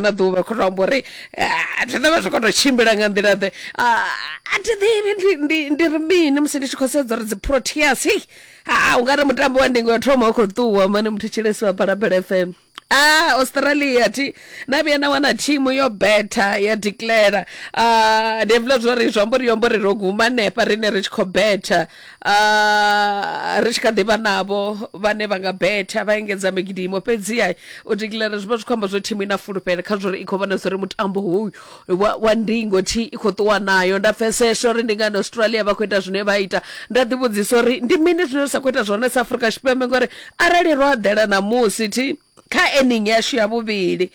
na ḓuvha khou to amba uri ah, thi ḓovha zwi khou to tshimbila nga nḓila ḓe Ah, a thi ḓivhi ndi- ndi- ndi ri mini musi ndi tshi khou sedza uri dziproteas hei ha u nga ri mutambo wa ndingo ya thoma u khou ṱuwa mane muthu tshilesi wa phalaphala fm Ah, Australia thi na vhuya na wana thimu yo betha ya declare ah ndi hafhiḽa zwori zwi amba uri yo amba uri ro guma hanefha rine ri tshi khou betha Ah, ri tshi kha ḓivha navho vhane vha nga betha vha engedza migidimo fhedziha u declare zwi vha zwi khou amba zwo thimu i na fulufhelo kha zwori i khou vhona zwori mutambo hoyu wa, wa ndingo thi i khou ṱuwa nayo nda pfeseswa uri ndi ngani australia vha khou ita zwine vha ita nda ḓivhudzisa uri ndi mini zwine ri sa khou ita zwone sa afurika tshipembe ngori arali ro aḓela ṋamusi thi kha ening yashu ya vhuvhili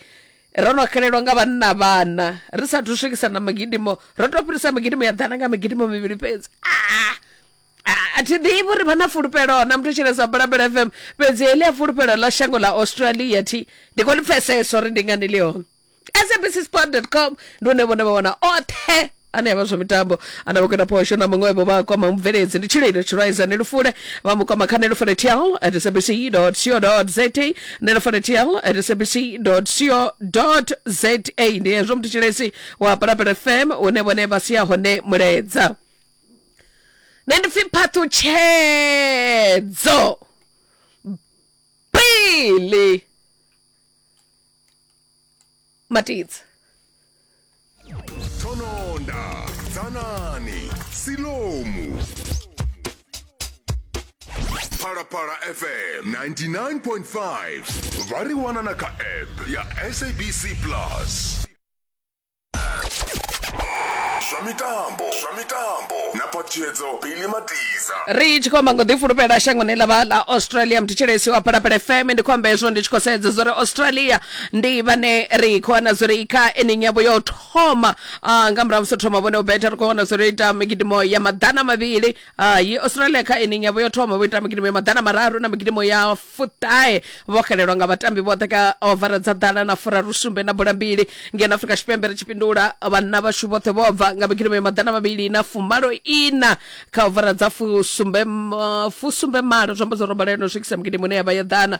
Ro no xelelwa nga vhanna vhana ri sa thu swikisa na migidimo ro to fhirisa migidimo ya ḓana nga migidimo mivhili fhedzi ah! ah, a thi ḓivhi uri vha na fulufhelo na muthu tshelesa bulabela fm fhedzi heḽi a fulufhelo ḽa shango ḽa australia thi ndi khou ḽi pfesesa uri ndi ngani ḽi hone sabc sport com ndi hune vhone vha wana oṱhe ane avha zwa mitambo ana vhukona phosho na muṅwe vho vha kwama mubveledzi ndi tshililo tshiraiza ni lufule vha mu kwama kha ni lufule tl at sabc co za ni lufule tl at sabc co za ndi hezwo muthu tshilesi wa palapala fm une vhone vha siya hone muledza nṋe ndi pfi phaṱhutshedzo pili matidzi thononda dzanani silomu phalaphala fm 99.5 vha ri wana na kha app ya sabc plus zwa mitambo zwa mitambo na phaṱhutshedzo bili matiza ri tshi khou amba ngo ḓifulufhela shangoni ḽa vha ḽa australia mthetshelesi wa phalaphala fm ndi khou amba hezwo ndi tshi khou sedza zwa uri australia ndi vhane ri khou wana zwori kha ening yavho ya u thoma ah, nga murahu musi ro thoma vhone u betha ri khou wana zwori ita migidimo ya maḓana mavhili ah, yi australia kha ening yavho ya u thoma vho ita migidimo ya maḓana mararu na migidimo ya fuṱahe vho xelelwa nga vhatambi vhoṱhe kha ovara dza ḓana na furaru sumbe na bola mbili ngeno afrika tshipembe ri tshi fhindula vhanna vhashu vhoṱhe vho bva nga migidimo ya maḓana mavhili na fumalo ina kha ovara dza fusumbe ma- fusumbe malo zwi amba zwo robaleno swikisa migidimo ine ya vha ya ḓana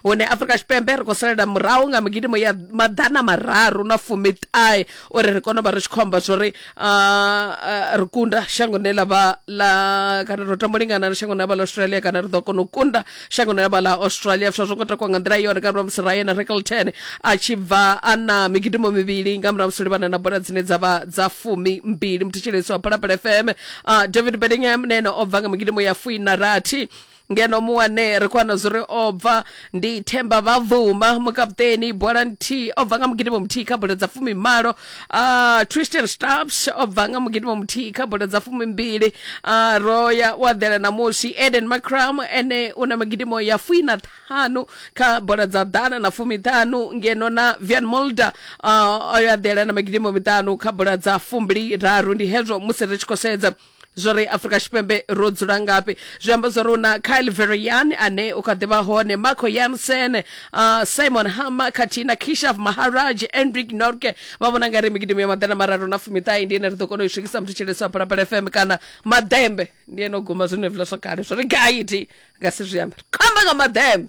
hune afrika tshipembe ri khou salela murahu nga migidimo ya maḓana mararu na fumiṱahe uri ri kone u vha ri tshi khou amba zwori ah, ah, ri kunda shango ne lavha la kana ro tamba u lingana na shango ne lavha la australia kana ri ḓo kona u kunda shango ne lavha la australia fsha zwo ngo takwa nga nḓila yone kana musi ryan rekelton a tshi bva a na migidimo mivhili nga murahu musi livhana na bola dzine dza vha dza fumi mbili muthetsheleso wa phalaphala fm ah, david bedingham na ene o bva nga migidimo ya fuina rathi ngeno muwane ri khou wana zwo ri o bva ndi themba vha vhuma mukaputeni bola nthihi o bva nga mugidimo muthihi kha bola dza fumi malo uh, tristan stabs o bva nga mugidimo muthihi kha bola dza fumi mbili uh, roya wa ḓela namusi eden macram ene u na magidimo ya fui na ṱhanu kha bola dza ḓana na fumi ṱhanu ngeno na vian molder uh, o ya ḓela na magidimo miṱanu kha bola dza fumbili raru ndi hezwo musi ri tshi khou sedza zwo ri afrika tshipembe ro dzula ngafhi zwi amba zwo ri una kyle verian ane u kha ḓi vha hone marco yansen uh, simon hammer khathihi na kishav maharaj enric norke vha vhona nga ri migidimu ya maḓana mararu na fumiṱahe ndi ene ri ḓo kona u i swikisa muthu tsheleso wa phalaphala fm kana maḓembe ndi ene o guma zwenevula zwo kale zwo ri gaiti nga si zwi ambe ri khou amba nga maḓembe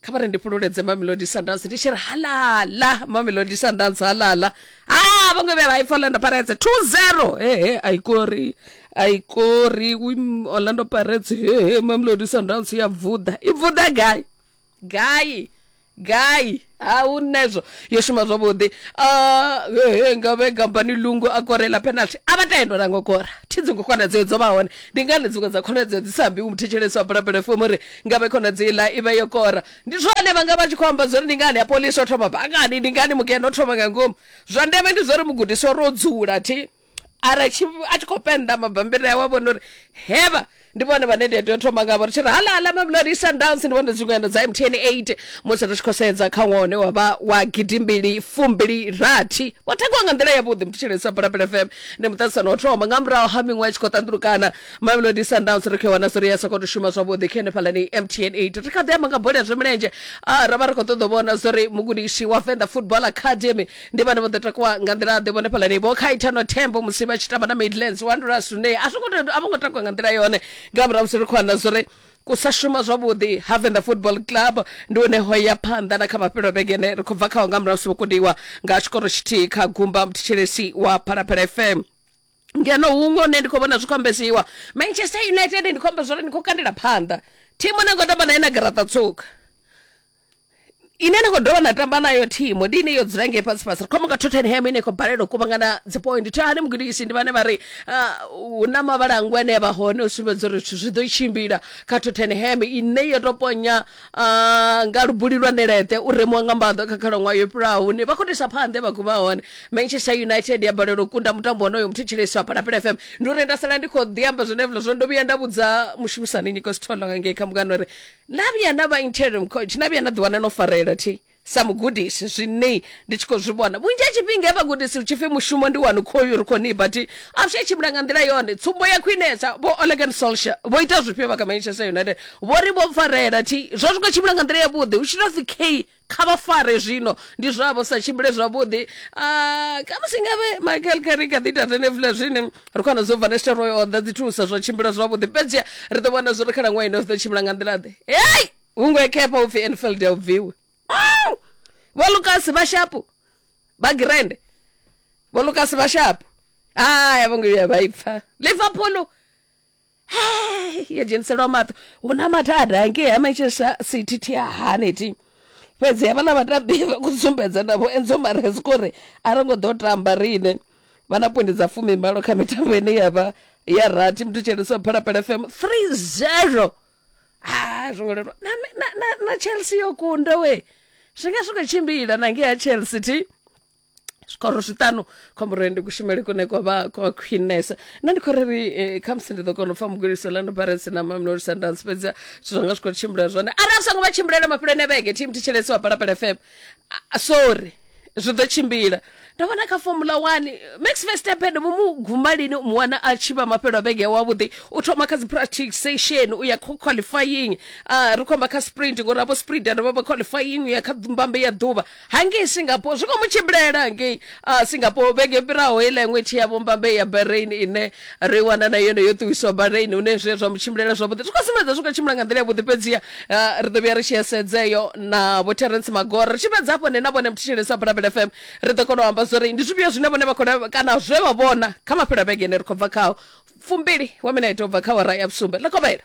kha vha ri ndi fhululedze mamelodi sundowns ndi tshi ri halala mamelodi sundowns halala ha vhaṅwe vhe vha ipfa orlando pirates 20 hehe aikori aikori wim orlando pirates hehe mamelodi sundowns ya vuḓa i vuḓa gai gai gai ha hu nezwo yo shuma zwavhuḓi Ah, hehe nga vhe gambani lungu a korela penalty a vha tendo na ngo kora thi dzingo khonadzeo dzo vha hone ndi ngani dziṅwe dza khonadzeo dzi sa ambi u muthetshelesi wa bulabula fomo uri nga vhe khonadzeo iḽa i vha yo kora ndi zwone vha nga vha tshi khou amba zwori ndi ngani ya polisi o thoma bangani ndi ngani mugeno o thoma nga ngomu zwa ndeme ndi zwori mugudiswa ro dzula thi ara tshi a tshi khou penda mabambiri awe a vhona uri hevha ndi vhone vhane ndi a tea u thoma ngavho ri tshi ri halahala mamelodi sundowns ndi vhone dziṅwendo dza mtn 8 musi ri tshi khou sedza kha ṅwaha une wa vha wa gidimbili fumbili rathi vho takuwa nga nḓila yavhuḓi mutshitshilesi wa bulabula fm ndi muṱaṱisano wa thoma nga murahu ha miṅwe i tshi khou ṱanḓulukana mamelodi sundowns ri khou i wana zwi ri ya sa khou tou shuma zwavhuḓi kha henefhalani mtn 8 ri kha ḓi amba nga bola ya zwa milenzhe Ah, ra vha ri khou ṱoḓa u vhona zwo ri mugudisi wa venḓa football academy ndi vhane vho ḓo takuwa nga nḓila-ḓe vhone fhalani vho khaithano thembo musi vha tshi tamba na midlands u andula sunday a songo a vho ngo takuwa nga nḓila yone nga murahu musi ri khou anda zwori ku sa shuma zwavhuḓi ha venḓa football club ndi hone ho ya phanḓa na kha mafhelo vhegene ri khou bva khao nga murahu musi vho kundiwa nga tshikoro tshithihi kha gumba muthetshelesi wa phalaphala fm ngeno huṅwe hune ndi khou vhona zwi khou ambesiwa manchester united ndi khou amba zwori ndi khou kandela phanḓa thimu ne ngo tamba naye na garaṱa tsuka ine na khou dovha na tamba nayo thimu ndi ine yo dzula ngei fhasi fhasi ri khou amba nga tottenham ine khou balelwa u kuvhangana dzipoint thani mugudisi ndi vhane vha ri ah, hu na mavhalangu ane a vha hone u sumbedza uri zwithu zwi ḓo tshimbila kha tottenham ine yo to ponya ah, nga lubuli lwa ṋeleṱe u remuwa nga mbaḓo kha khalaṅwaha yo fhiraho hune vha khou tisa phanḓe vha guma hone manchester united ya balelwa u kunda mutambo wonoyo muthetshelesi wa palapela fm ndi uri nda sala ndi khou ḓi amba zwenevula zwo ndo vhuya nda vhudza mushumisani nyiko sitholo nga ngei kha mukano uri na vhuya na vha interim coach na vhuya na ḓiwana no farelela thi sa mugudisi zwine ndi tshi khou zwi vhona vhunzhi ha tshifhinga he vhagudisi ri tshipfi mushumo ndi wanu khoyu ri khou ni but a zwi tshimbila nga nḓila yone tsumbo ya khwinesa vho olegan solsha vho ita zwifhio vha kha manchester united vho ri vho farelela thi zwo zwi khou tshimbila nga nḓila yavhuḓi hu tshi tou pfi k kha vha fare zwino ndi zwavho sa tshimbile zwavhuḓi Ah, kha musi ngavhe michael kari kha ḓi tatene vula zwine ri khou wana zwo vanesta roy o ḓa dzi thusa zwa tshimbila zwavhuḓi fhedzia ri ḓo vhona zwo ri khalaṅwaha ino zwi ḓo tshimbila nga nḓila ḓe hei hungo ekhepha u pfi enfield ya u bviwe Mm! vho lukasi vha shapu vha girende vho lukasi vha shapu haya vho ngo vhuya vha i pfa liverpool yo dzheniselwa maṱo hu na mathada ngei ha manchester city thi a hani thi fhedzi havhaḽa vhatambi vha khou sumbedza navho enzo mares kori a ro ngo ḓo tamba riṋe vha na pwendi dza fumi malo kha mitambo ine ya vha ya rathi muthu tshelisa phalaphala fm 3 zero ha zwo ngo lelwa na, na, na, na chelsea yo kunda we zwi nga zwi khou tshimbila na ngei ha chelsea thi zwikoro zwiṱanu khomboroni ndi kushumele kune kwa vha kwa khwinesa nṋe ndi khou ri ri eh, khamusi ndi ḓo kona u pfa mugudisi lando baresi na mamlori sundance fhedzi zwithu zwanga zwi khou tshimbila zwone arali songo vha tshimbilele mafhuloni a vhege tim thetshelesi wa palapala fm Ah, ah, sorry zwi ḓo tshimbila ndo vhona kha formula one max verstappen vho mu guma lini u mu wana a tshi vha mafhelo a vhege ya wavhuḓi u thoma kha dzi practic session u ya kho qualifying uh, ri khomba kha sprint ngori avho sprint ane vha vha qualifying u ya kha mbambe ya ḓuvha hangei singapore zwi khou mu tshimbilela hangei uh, singapore vhege yo fhiraho heiḽa iṅwe thi ya vhombambe ya bahrain ine ri wana na yone yo ṱuwiswa bahrain hune zwi zwa mu tshimbilela zwavhuḓi zwi khou sumbedza zwi khou tshimbila nga nḓila yavhuḓi fhedziha uh, ri ḓo vhuya ri tshi esedzeyo na vho terence magora ri tshi fhedza hafho ne na vhone mthetshelesi wa bulabel fm ri ḓo kona u amba zwori ndi zwifhio zwine vhone vha khou lavhe- kana zwe vha vhona kha mafhelo a vhege ine ri khou bva khao fumbili wa mina ita u bva kha wara ya vhusumbe ḽa kovhela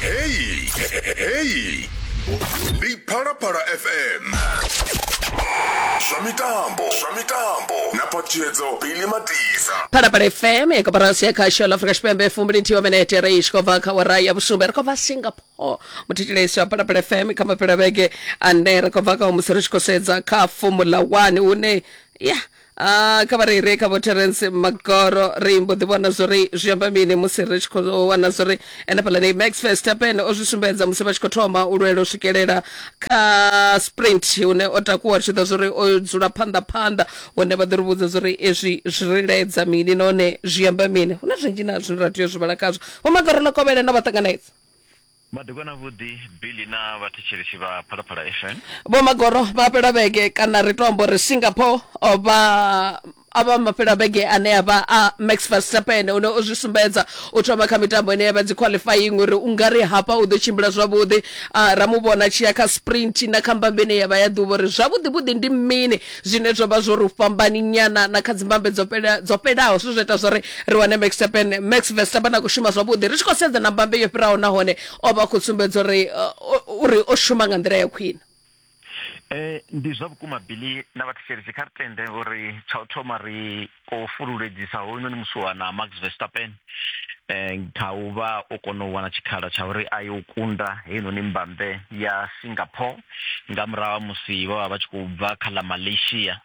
Hey, hey. Ndi Phalaphala FM. Zwa mitambo, zwa mitambo. Na patshedzo Billy Matiza. phalaphala fm ya koporasi ya khasho la afrika tshipembe fumbili nthihi wa minete ri tshi khou bva kha wara ya vhusumbe ri khou bva singapore muthetshelesi wa phalaphala fm kha mapela vhege ane ri khou bva kha musi ri tshi khou sedza kha fomula 1 hune ya Ah, kha vha ri re kha vho terence magoro ri mbo ḓi vhona zwori zwi amba mini musi ri tshi khou wana zwori ene fhaḽani max verstappen o zwi sumbedza musi vha tshi khou thoma u lwela u swikelela kha sprint hune o takuwa ri tshi ḓa zwori o dzula phanḓa phanḓa hune vha ḓo ri vhudza zwori ezwi zwi ri laedza mini nahone zwi amba mini hu na zwinzhi na zwine ra tea u zwi vhala khazwo vho magoro ḽa kovhela na vha ṱanganedza Madekwana avhuḓi Billy na vhathetshelesi vha Phalaphala FM. Vho Magoro vha fhela vhege kana ri tou amba uri Singapore vha a vha mafhela vhege ane a vha a Max Verstappen une o zwi sumbedza u thoma kha mitambo ine ya vha dzi qualifying uri u nga ri hafha u ḓo tshimbila zwavhuḓi ra mu vhona tshi ya kha sprint na kha mbambe ine ya vha ya ḓuvha uri zwavhuḓi vhuḓi ndi mini zwine zwa vha zwo ri fhambani nyana na kha dzimbambe dzo fhela dzo fhelaho zwi zwo ita zwa ri ri wane Max Verstappen Max Verstappen a khou shuma zwavhuḓi ri tshi khou sedza na mbambe yo fhiraho nahone o vha khou sumbedza uri uh, uri o shuma nga nḓila ya khwine eh ndi zwa vhukuma Billy na vhathetshelesi kha ri tende uri tsha u thoma ri o fululedzisa hoyunoni musiwana Max Verstappen eh, kha u vha o kona u wana tshikhala tsha uri a yo kunda heinoni mbambe ya Singapore nga murahu ha musi vha vha vha tshi khou bva kha ḽa Malaysia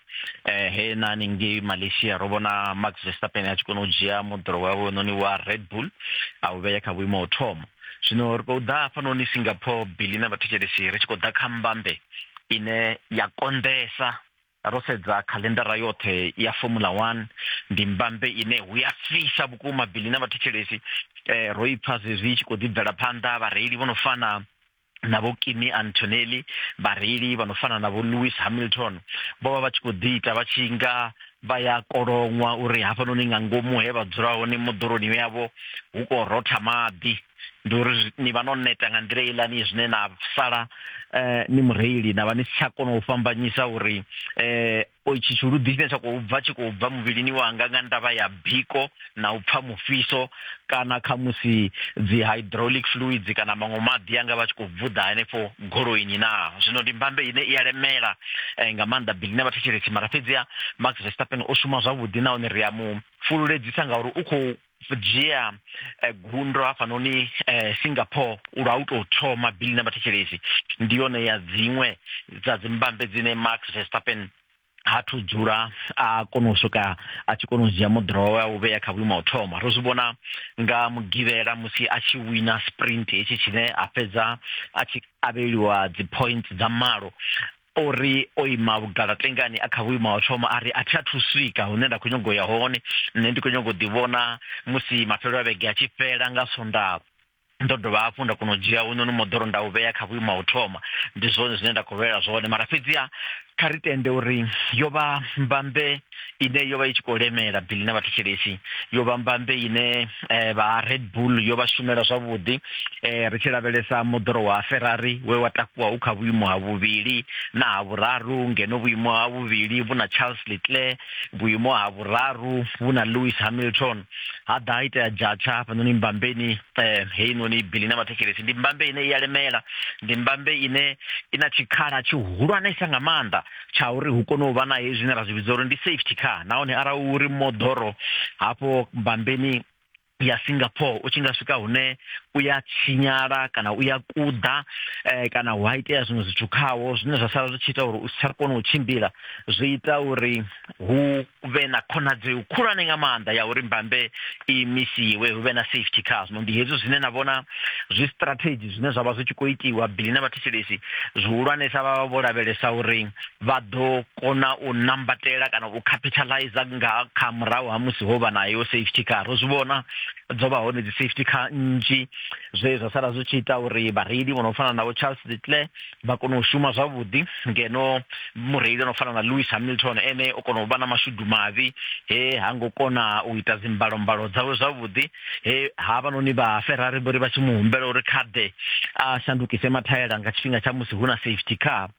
eh, he na haningei Malaysia ro vhona Max Verstappen a tshi kona u dzhia moḓoro wawe noni wa Red Bull a u vhea kha vhuimo ho thoma zwino ri khou ḓa hafhanoni Singapore bili na vhathetshelesi ri tshi khou ḓa kha mbambe ine ya konḓesa ro sedza khaḽendara yoṱhe ya formula one ndi mbambe ine hu ya fhisa vhukuma bili na vhathetshelesi eh, ro i pfa zwezwi i tshi khou ḓi bvela phanḓa vhareili vho no fana na vho kimi antonelli vhareili vha no fana na vho lewis hamilton vho vha vha tshi khou ḓi ita vha tshi nga vha ya koloṅwa uri hafhanoni nga ngomu he vha dzula hone moḓoroni yavho hu khou rotha maḓi ndi uri ni vha no neta nga nḓila ilani zwine na sala eh, ni mureili na vha ni si tsha kona u fhambanyisa uri eh, o itshi tshiludi tshine tsha khou bva tshi khou bva muvhilini wanga nga ndavha ya biko na u pfha mufhiso kana kha musi dzi hydraulic fluids kana maṅwe maḓi anga vha tshi khou vuḓa henefho goloini na zwino ndi mbambe ine i ya lemela eh, nga maanḓa bili na vhathetshelesi mara fhedziha max verstappen o shuma zwavhuḓi nahone ri a mu fululedzisa ngauri u khou dzhia eh, gundo hafhanoni eh, singapore lwa u tou thoma bili na vhathetshelesi ndi yone ya dziṅwe dza dzimbambe dzine max verstappen ha thu dzula a kona u swika a tshi kona u dzhia moḓoro wawe a u vhea kha vhuimo ha u thoma ro zwi vhona nga mugivhela musi a tshi wina sprint hetshi tshine a fhedza a tshi avheliwa dzi points dza malo o ri o ima vhugalatlengani a kha vhuimo ha u thoma a ri a thi athu swika hune nda khou nyago ya hone nṋe ndi khou nyago u ḓivhona musi mafhelo a vhege a tshi fhela nga sondaha ndo dovha hafhu nda kona u dzhia hunoni moḓoro nda u vhea kha vhuimo ha u thoma ndi zwone zwine nda khou lwela zwone mara fhedziha kha ri tende uri yo vha mbambe ine yo vha i tshi khou lemela bili na vhathetshelesi yo vha mbambe ine eh, vha red bull yo vha shumela zwavhuḓi eh, ri tshi lavhelesa moḓoro wa ferrari we wa takuwa u kha vhuimo ha vhuvhili na ha vhuraru ngeno vhuimo ha vhuvhili vhu na charles leclerc vhuimo ha vhuraru vhu na lewis hamilton ha ḓa ha itea jatsha hafhanoni mbambeni eh, heinoni bili na vhathetshelesi ndi mbambe ine i ya lemela ndi mbambe ine i na tshikhala tshihulwanesa nga maanḓa tsha uri hu kone u vha na hezwi zwine ra zwi vhidza uri ndi safety car nahone arali uri moḓoro hafho bambeni ya Singapore u tshi nga swika hune u ya tshinyala kana u ya kuḓa eh, kana hu a itea zwiṅwe zwithu khawo zwine zwa sala zwi tshi ita uri u si tsha kona u tshimbila zwi ita uri hu vhe na khonadzeo khulwane nga maanḓa ya uri mbambe i misiwe hu vhe na safety car zwino ndi hezwi zwine na vhona zwi strategy zwine zwa vha zwi tshi khou itiwa bili na vhathetshelesi zwihulwanesa vha vha vho lavhelesa uri vha ḓo kona u nambatela kana u capitalize nga kha murahu ha musi ho vha nayo safety car ro zwi vhona dzo vha hone dzi safety car nnzhi zwe zwa sala zwi tshi ita uri vhareili vho no fana navho charles little vha kona u shuma zwavhuḓi ngeno mureili o no fana na lewis hamilton ene o kona u vha na mashudu mavhi he ha ngo kona u ita dzimbalombalo dzawe zwavhuḓi he havhanoni vha ferrari vho ri vha tshi mu humbela uri kha ḓe a shandukise mathaela nga tshifhinga tsha musi hu na safety car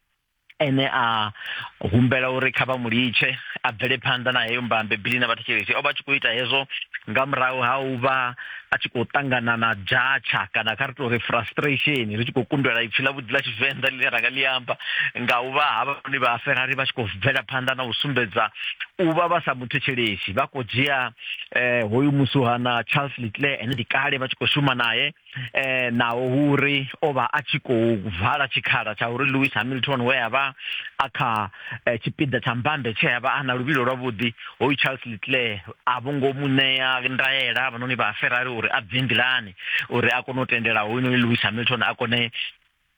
ene a humbela uri kha vha mu litshe a bvele phanḓa na heyo mbambe bili na vhathetshelesi o vha tshi khou ita hezwo nga murahu ha u vha a tshi khou ṱangana na dzhatsha kana kha ri tou ri frustration ri tshi khou kundelwa ipfhi ḽa vhuḓi ḽa tshivenḓa ḽine ra nga ḽi amba nga u vha havhanoni vha ferari vha tshi khou bvela phanḓa na u sumbedza u vha vha sa muthetshelesi vha khou dzhia um hoyu musuhana charles litle ene ndi kale vha tshi khou shuma naye um naho hu uri o vha a tshi khou vala tshikhala tsha uri lewis hamilton we a vha a kha eh, tshipiḓa tsha mbambe tshe a vha a na luvhilo lwavhuḓi hoyu charles litle a vho ngo mu ṋea ndaela havhanoni vha Ferrari uri a bve nḓilani uri a kone u tendela hoyunoni Lewis Hamilton a kone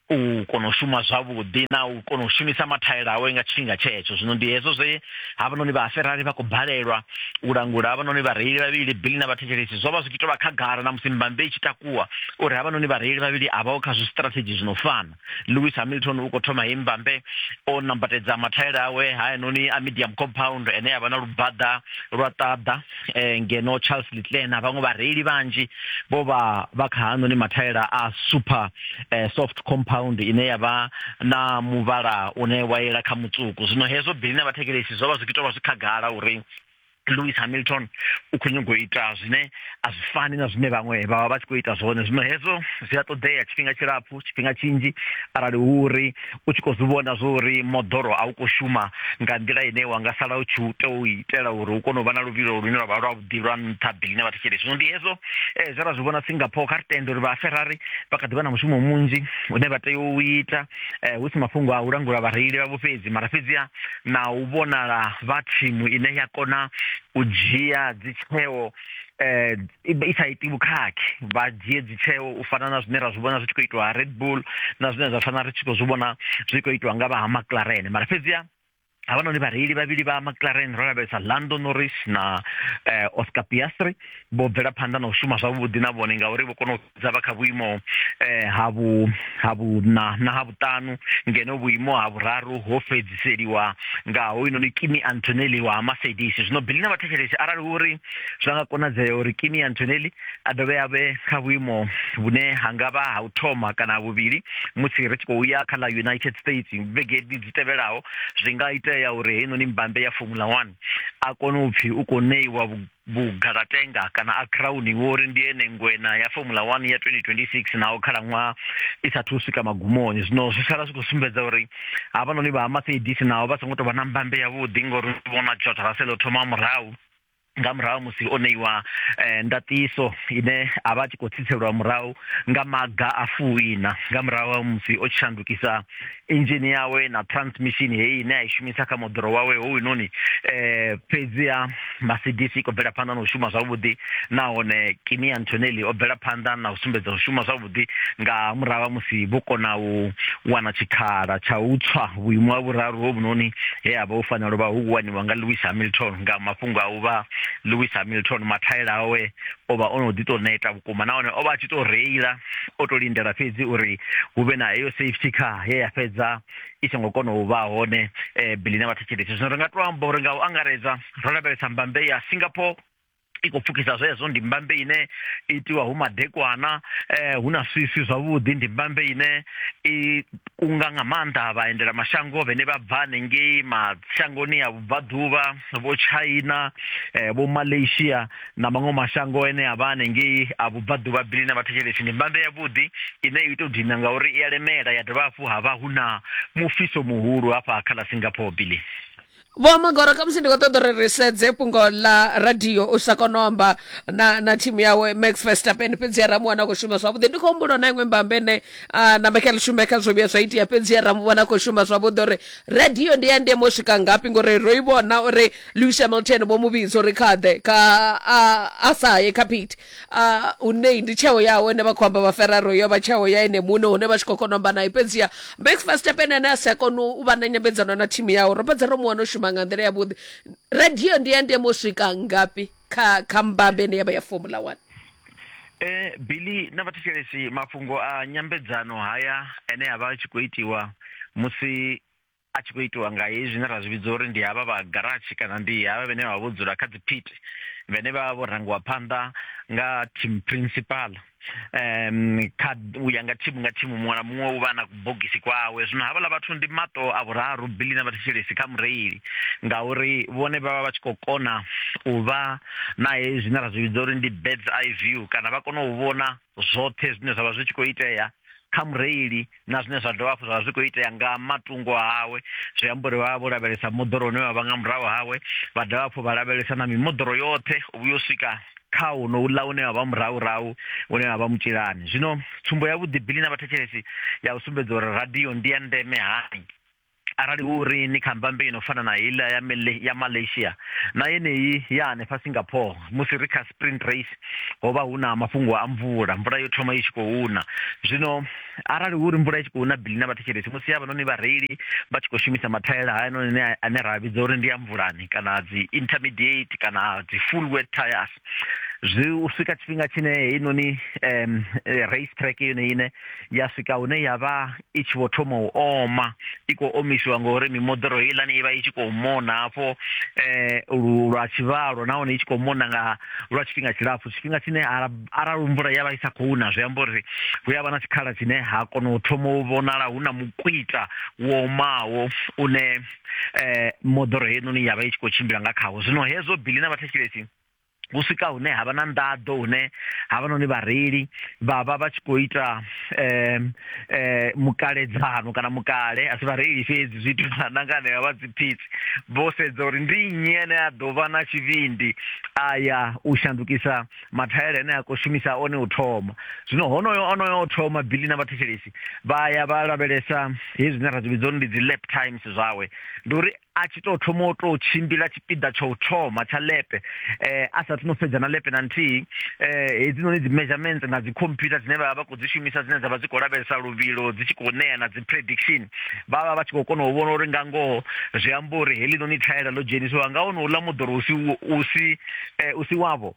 u kona u shuma zwavhuḓi na u kona u shumisa mathaela awe nga tshifhinga tshetsho zwino ndi hezwo zwe havhanoni vha Ferrari vha khou balelwa u langula havhanoni vhareili vhavhili Billy na vhathetshelesi zwo vha zwi tshi tou vha khagala na musi mbambe i tshi takuwa uri havhanoni vhareili vhavhili a vhaho kha zwistrategy zwi no fana lewis hamilton u khou thoma hei mbambe o nambatedza mathaela awe hayanoni a medium compound ene a vha na lubaḓa lwa ṱaḓa eh, ngeno charles litlen na vhaṅwe vhareili vhanzhi vho vha vha kha hanoni mathaela a super eh, soft compound ine ya vha na muvhala une wa yela kha mutsuku zwino hezwo bili na vhathekelesi zwo vha zwi kitovha zwi khagala uri Lewis Hamilton u khou nyanga u ita zwine a zwi fani na zwine vhaṅwe vha vha vha tshi khou ita zwone zwino hezwo zwi a ṱoḓea tshifhinga tshilapfu tshifhinga tshinzhi arali hu uri u tshi khou zwi vhona zwo uri moḓoro a u khou shuma nga nḓila ine wa nga sala u tshi u tea u itela uri u kone u vha na luvhilo lune lwa vha lwa vhuḓi lwa nṱha bili ne vha thetshelesi zwino ndi hezwo eh, zwe ra zwi vhona Singapore kha ri tende uri vha Ferrari vha kha ḓi vha na mushumo munzhi une vha tea u ita eh, hu si mafhungo a u langula vhareili vhavho fhedzi mara fhedziha na u vhonala vha thimu ine ya kona u dzhia dzitsheo eh i sa iti vhukhakhi vha dzhie dzitsheo u fana na zwine ra zwi vhona zwi tshi khou itwa Red Bull na zwine zwa fana ri tshi khou zwi vhona zwi khou itwa nga vha ha McLaren mara fhedziha havhanoni vhareili vhavhili vha maclaren ro lavhelesa lando norris na eh, oscar piastri vho bvela phanḓa na u shuma zwavhuḓi na vhone ngauri vho kona u dza vha kha vhuimo eh, ha vhuṋa na ha vhuṱanu ngeno vhuimo ha vhuraru ho fhedziseliwa nga hoyunoni kimi antonelli wa mercedes zwino bili na vhathetshelesi arali uri zwa nga konadzea uri kimi antonelli a dovhe a vhe kha vhuimo vhune ha nga vha ha u thoma kana ha vhuvhili musi ri tshi khou ya kha ḽa united states vhegedi dzi tevhelaho zwi nga itea uri heinoni mbambe ya formula one a kone u pfhi u khou ṋeiwa vhugalatenga kana a crowni wo uri ndi ene ngwena ya formula one ya 2026 naho khalaṅwaha i sathu u swika magumoni zwino zwi sala zwi khou sumbedza uri havhanoni vha ha mercedes naho vha songo tou vha na mbambe yavhuḓi ngori vhona jota raselo thoma murahu nga murahu musi o ṋeiwa eh, ndaṱiso ine a vha a tshi khou tsitselwa murahu nga maga a fuwina nga murahu ha musi o tshi shandukisa inzhini yawe na transmission heyi ine a i shumisa kha moḓoro wawe hounoni eh, fhedziha mercedes i khou bvela phanḓa na u shuma zwavhuḓi nahone kimi antonelli o bvela phanḓa na u sumbedza u shuma zwavhuḓi vhuḓi nga murahu ha musi vho kona u wana tshikhala tsha u tswa vhuimo ha vhuraru hovhunoni he ha vha hu fanela u vha hu waniwa nga lewis hamilton nga mafhungo a u vha lewis hamilton mathaela awe o vha o no ḓi tou neta vhukuma nahone o vha a tshi tou reila o tou lindela fhedzi uri hu vhe na heyo safety car he ya fhedza i songo kona u vha hone um eh, bilina vhathetshelesi zwino ri nga tou amba uri nga u angaredza ro lavhelesa mbambe ya singapore i khou pfukisa zwezwo ndi mbambe ine itiwa hu madekwana eh hu na swiswi zwavhuḓi ndi mbambe ine i kunga nga maanḓa vhaendela mashango vhene vha bva hanengei mashangoni a vhubvaḓuvha vho china eh, vho malaysia na maṅwe mashango ene a vha hanengei a vhubvaḓuvha bili na vhathetshelesi ndi mbambe yavhuḓi ine i tou dina ngauri i ya lemela ya dovha hafhu ha vha hu na mufhiso muhulu hafha kha ḽa singapore bili vho magoro khamusi ndi khou ṱoḓa uri ri sedze fhungo ḽa radio u sa kona u amba na na thimu yawe max verstappen fhedzi ya ramuwana khou shuma zwavhuḓi ndi khou humbula na iṅwe mbambe ne na michael shumeka zwo vhuya zwa itea fhedzi ya ramuwana khou shuma zwavhuḓi uri radio ndi ya ndeme u swika ngafhi ngori ro i vhona uri lewis hamilton vho mu vhidza uri khaḓe kha a sa ye kha phiti a u nei ndi tsheo yawe ine vha khou amba vha ferraro yo vha tsheo ya ene muṋe hune vha tshi khou kona u amba naye fhedziha max verstappen ane a si a kona u vha na nyambedzano na thimu yawe ro fhedza ro mu wana u shuma nga nḓila yavhuḓi radio ndi ya ndeme u swika ngafhi kha kha mbambe ine ya vha ya formula one Eh Billy na vhathetshelesi mafhungo a nyambedzano haya ane a vha a tshi khou itiwa musi a tshi khou itiwa nga hezwi zwine ra zwi vhidza uri ndi havha vha garatshi kana ndi havha vhane vha vho dzula kha dziphiti vhane vha vha vho rangiwa phanḓa nga team principal um kha u ya nga thimu nga thimu muṅwe na muṅwe u vha na kubogisi kwawe zwino havhaḽa vhathu ndi maṱo a vhuraru bili na vhathetshelesi kha mureili ngauri vhone vha vha vha tshi khou kona u vha na hezwi zwine ra zwi vhidza uri ndi birds eye view kana vha kona u vhona zwoṱhe zwine zwa vha zwi tshi khou itea kha mureili na zwine zwa dovha hafhu zwa vha zwi khou itea nga matungo awe zwi amba uri vha vha vho lavhelesa moḓoro une vha vha nga murahu hawe vha dovha hafhu vha lavhelesa na mimoḓoro yoṱhe u vhuya u swika kha uno uḽa une wa vha murahurahu une wa vha mutshilani zwino tsumbo yavhuḓi bili na vhathetshelesi ya u sumbedza uri radio ndi ya ndeme hani Arali hu uri ni kha mbambe i no fana na heiḽa ya, Male, ya Malaysia na yeneyi ya hanefha Singapore, musi ri kha sprint race ho vha hu na mafhungo a mvula. Mvula yo thoma i tshi khou na. Zwino arali hu ri mvula i tshi khou na, Billy na vhathetshelesi, musi havhanoni vhareili vha tshi khou shumisa mathaela hayanoni ane ra vhidza uri ndi a mvulani kana dzi intermediate kana dzi full wet tyres, zwi u swika tshifhinga tshine heinoni um, race track yone ine ya swika hune ya vha i tshi vho thoma u oma i khou omisiwa ngori mimoḓoro heiḽani i vha i tshi khou mona hafho um lwa tshivhalo nahone i tshi khou mona nga lwa tshifhinga tshilapfhu tshifhinga tshine arali mvula ya vha i sa khou na zwi amba uri hu ya vha na tshikhala tshine ha kona u thoma u vhonala hu na mukwita wo omaho une um moḓoro heinoni ya vha i tshi khou tshimbila nga khawo zwino hezwo bili na vhathetshelesi hu swika hune ha vha na nḓaḓo hune ha vha noni vhareili vha vha vha tshi khou ita um mukaledzano kana mukale a si vhareili fhedzi zwi itiwa na nga hanevha vha dziphitsi vho sedza uri ndi nnyi ane a ḓo vha na tshivhindi a ya u shandukisa mathaela ane a khou shumisa one u thoma zwino honoyo onoyo o thoma bili na vhathetshelesi vha ya vha lavhelesa hezwi zwine ra zwi vhidza uri ndi dzi lap times zwawe ndi uri a tshi tou thoma u tou tshimbila tshipiḓa tsha u thoma tsha lepe eh a sathu no fhedza na lepe na nthihi eh hedzi noni dzi measurements nga dzi computer dzine vha vha khou dzi shumisa dzine dza vha dzi khou lavhelesa luvhilo dzi tshi khou ṋea na dzi prediction vha vha vha tshi khou kona u vhona uri nga ngoho zwi amba uri heḽi noni thaela ḽo dzhenisiwa nga hone uḽa moḓoro u si u si eh, u si wavho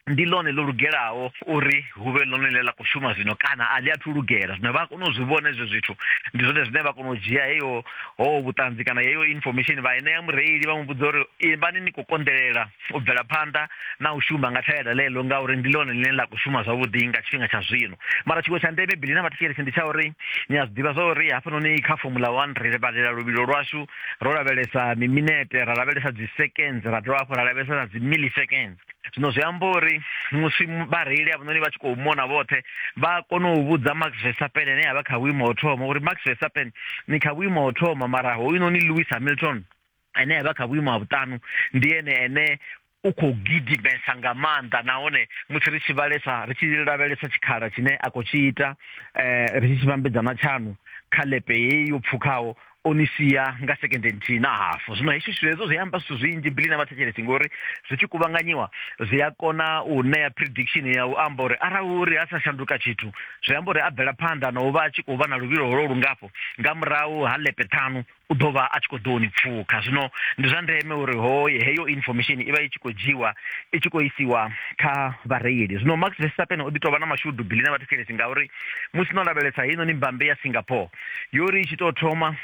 ndi ḽone ḽo lugelaho uri hu vhe ḽone ḽe ḽa khou shuma zwino kana a ḽi athu lugela zwino vha kona u zwi vhona hezwo zwithu ndi zwone zwine vha kona u dzhia heyo ho vhuṱanzi kana heyo information vha enea mureili vha mu vhudza uri ivhani ni khou konḓelela u bvela phanḓa na u shuma nga thaela ḽeḽo ngauri ndi ḽone ḽine ḽa khou shuma zwavhuḓi nga tshifhinga tsha zwino mara tshiṅwe tsha ndeme bili na vhathetshelesi ndi tsha uri ni a zwi ḓivha zwa uri hafhanoni kha fomula one ri vhalela luvhilo lwashu ro lavhelesa miminete ra lavhelesa dzi seconds ra dovha hafhu ra lavhelesa na dzi milliseconds zwino zwi amba uri musi vhareili avhanoni vha tshi khou mona vhoṱhe vha kona u vhudza max verstappen ane a vha kha vhuimo ho thoma uri max verstappen ni kha vhuimo ho thoma mara hoyunoni lewis hamilton ane a vha kha vhuimo ha vhuṱanu ndi ene ene u khou gidimesa nga maanḓa nahone musi ri tshi vhalesa ri tshi lavhelesa tshikhala tshine a khou tshi ita um ri tshi tshi vhambedza na tshaṋu kha lepe heyi yo pfukhaho o ni sia nga sekende nthihi na hafu zwino hezwi zwithu hezwo zwi amba zwithu zwinzhi bili na vhathetshelesi ngori zwi tshi kuvhanganyiwa zwi a kona u ṋea prediction ya u amba uri arali uri a sa shanduka tshithu zwi amba uri a bvela phanḓa na u vha a tshi khou vha na luvhilo holo lungafho nga murahu ha lepe ṱhanu u ḓo vha a tshi khou ḓo ni pfukha zwino ndi zwa ndeme uri hoye heyo information i vha i tshi khou dzhiwa i tshi khou isiwa kha vhareili zwino max verstappen o ḓi tou vha na mashudu bili na vhathetshelesi ngauri musi no lavhelesa heinoni mbambe ya singapore yo ri i tshi tou thoma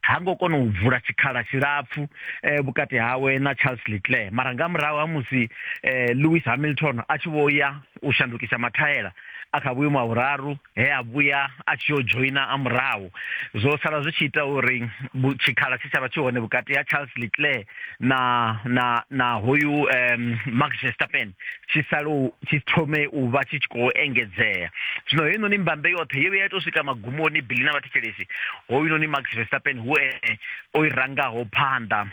ha ngo kona u vula tshikhala tshilapfu eh, vhukati hawe na charles leclair mara nga murahu ha musi eh, lewis hamilton a tshi vho ya u shandukisa mathaela a kha vhuimo ha vhuraru he a vhuya a tshi yo dzhoina a murahu zwo sala zwi tshi ita uri vhu- tshikhala tshe tsha vha tshi hone vhukati ha charles leclair na na na hoyu um, max verstappen tshi sale tshi thome u vha tshi tshi khou engedzea zwino heinoni mbambe yoṱhe ye vhe ya tou swika magumoni bili na vhathetshelesi hoyunoni max verstappen hu ene o i rangaho phanḓa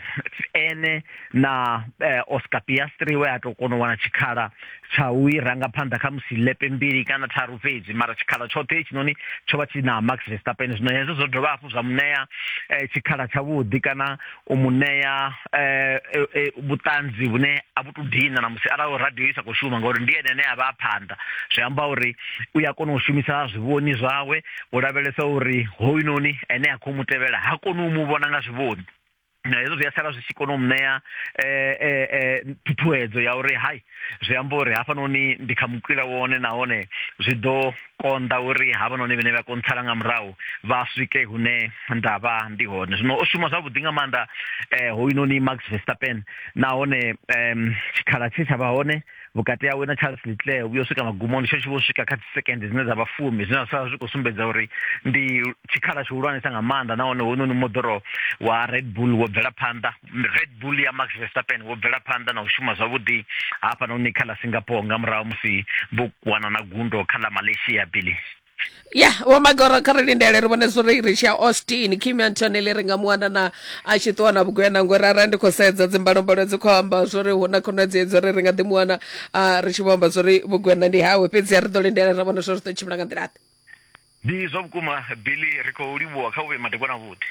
ene na eh, oscar piastri we a tou kona u wana tshikhala tsha u i ranga phanḓa kha musi lepe mbili kana tharu fhedzi mara tshikhala tshoṱhe hetshinoni tsho vha tshi na max verstappen zwino hezwo zwo dovha hafhu zwa muṋea eh, tshikhala tshavhuḓi kana u mu ṋea eh, eh, eh, vhuṱanzi vhune a vhu to dina na musi arali radio i sa khou shuma ngauri ndi ene ane a vha a phanḓa zwi amba uri u ya kona u shumisa zwivhoni zwawe u lavhelesa uri hoyunoni ene a khou mu tevhela ha koni u mu vhona nga zwivhoni na hezwo zwi a sala zwi tshi kona u mu ṋea eh, eh, eh, ṱhuṱhuwedzo ya uri hai zwi amba uri hafhanoni ndi kha mukwila wone nahone zwi ḓo konḓa uri havhanoni vhane vha kontsala nga murahu vha swike hune nda vha ndi hone zwino o shuma zwavhuḓi nga maanḓa um hoyunoni max verstappen nahone um tshikhala tshe tsha vha hone vhukati hawe na charles leclair vhuyo swika magumoni tsho tshi vho swika kha dzisekende dzine dza vha fumi zwine zwa zwi khou sumbedza uri ndi tshikhala tshihulwanesa nga maanḓa nahone hoyunoni moḓoro wa red bull wo bvela phanḓa Red Bull ya Max Verstappen wo bvela phanḓa na u shuma zwavhuḓi hafhanoni kha ḽa Singapore nga murahu musi vho wana na gundo kha ḽa Malaysia Billy. ya vho magoro kha ri lindele ri vhone zwori ri tshi ya austin kim antoneli ri nga mu wana na a tshi ṱuwa na vhugwena ngori arali ndi khou sedza dzimbalombalo dzi khou amba zwori hu na khonadzeo dza uri ri nga ḓi mu wana ri tshi vho amba zwori vhugwena ndi hawe fhedzi a ri ḓo lindela ra vhona zwori ri ḓo tshimbila nga nḓila ḓe Ndi zwa vhukuma Billy ri khou livhuwa kha u vhe madekwana vhuḓi.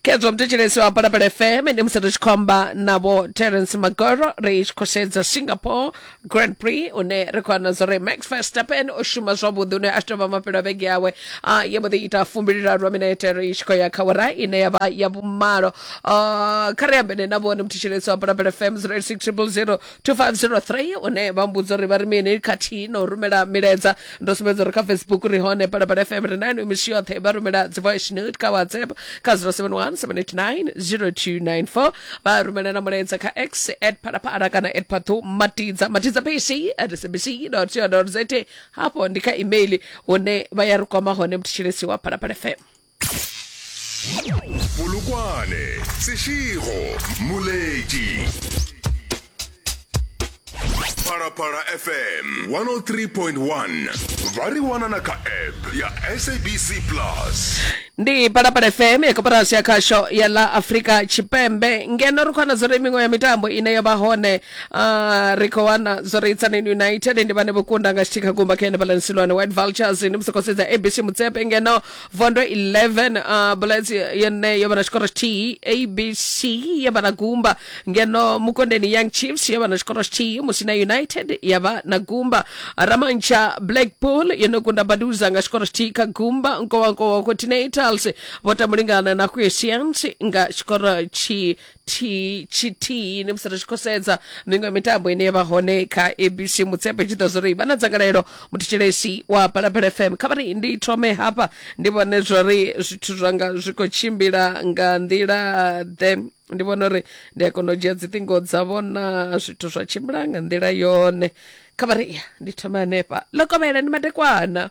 Khedzwa muthetshelesi wa Palapala FM ndi musi ri tshi khou amba na vho Terence Magoro ri tshi khou sedza Singapore Grand Prix une ri khou wana zwa uri Max Verstappen o shuma zwavhuḓi une a tshi tou vha mafhelo a vhege yawe a ya mbo ḓi ita fumbiliraru lwa minete ri tshi khou ya kha wara ine ya vha ya vhumalo Ah, kha ri ambene na vhone muthetshelesi wa Palapala FM 086 000 2503 une vha mbudza uri vha ri mini khathihi na u rumela milaedza ndo sumbedza uri kha facebook ri hone palapala fm ri nani misi yoṱhe vha rumela dzi voice note kha whatsapp kha 0717890294 vha rumela na mulaedza kha x at palapala kana at phathu matidza matidza pc at sabc co za hafho ndi kha email hune vha ya ri kwama hone mutshilesi wa palapala fm polokwane sešego moledi phalaphala fm 103.1 ba re wanana ka app ya sabc plus ndi palapala fm ya koporasi ya khasho ya la afrika tshipembe ngeno ri khou wana zwori miṅwe ya mitambo ine ya vha hone uh, ri khou wana zwori itsanin united ndi vhane vho kunda nga tshithihi kha gumba kha ene balansilwane white vultures ndi musi khou sedza abc mutsepe ngeno vondo 11 uh, bullets yone yo vha na tshikoro tshithihi abc ya vha na gumba ngeno mukondeni young chiefs ya vha na tshikoro tshithihi musina united ya vha na gumba ramantsha blackpool yo no kunda baduza nga tshikoro tshithihi kha gumba nkowankowa continentals vho tambulingana na quiesians nga tshikoro tshi tshithihi tshithihi ni musi ri tshi khou sedza miṅwe ya mitambo ine ya vha hone kha abc mutsepe tshi ḓa zwori vha na dzangalelo muthetshelesi wa phalaphala fm kha vhari ndi thome hafha ndi vhone zwori zwithu zwanga zwi khou tshimbila nga nḓila ḓe ndi vhona uri ndi a kona u dzhia dziṱingo dza vhona zwithu zwa tshimbila nga nḓila yone kha vhari ya ndi thome hanefha ḽo kovhela ndi madekwana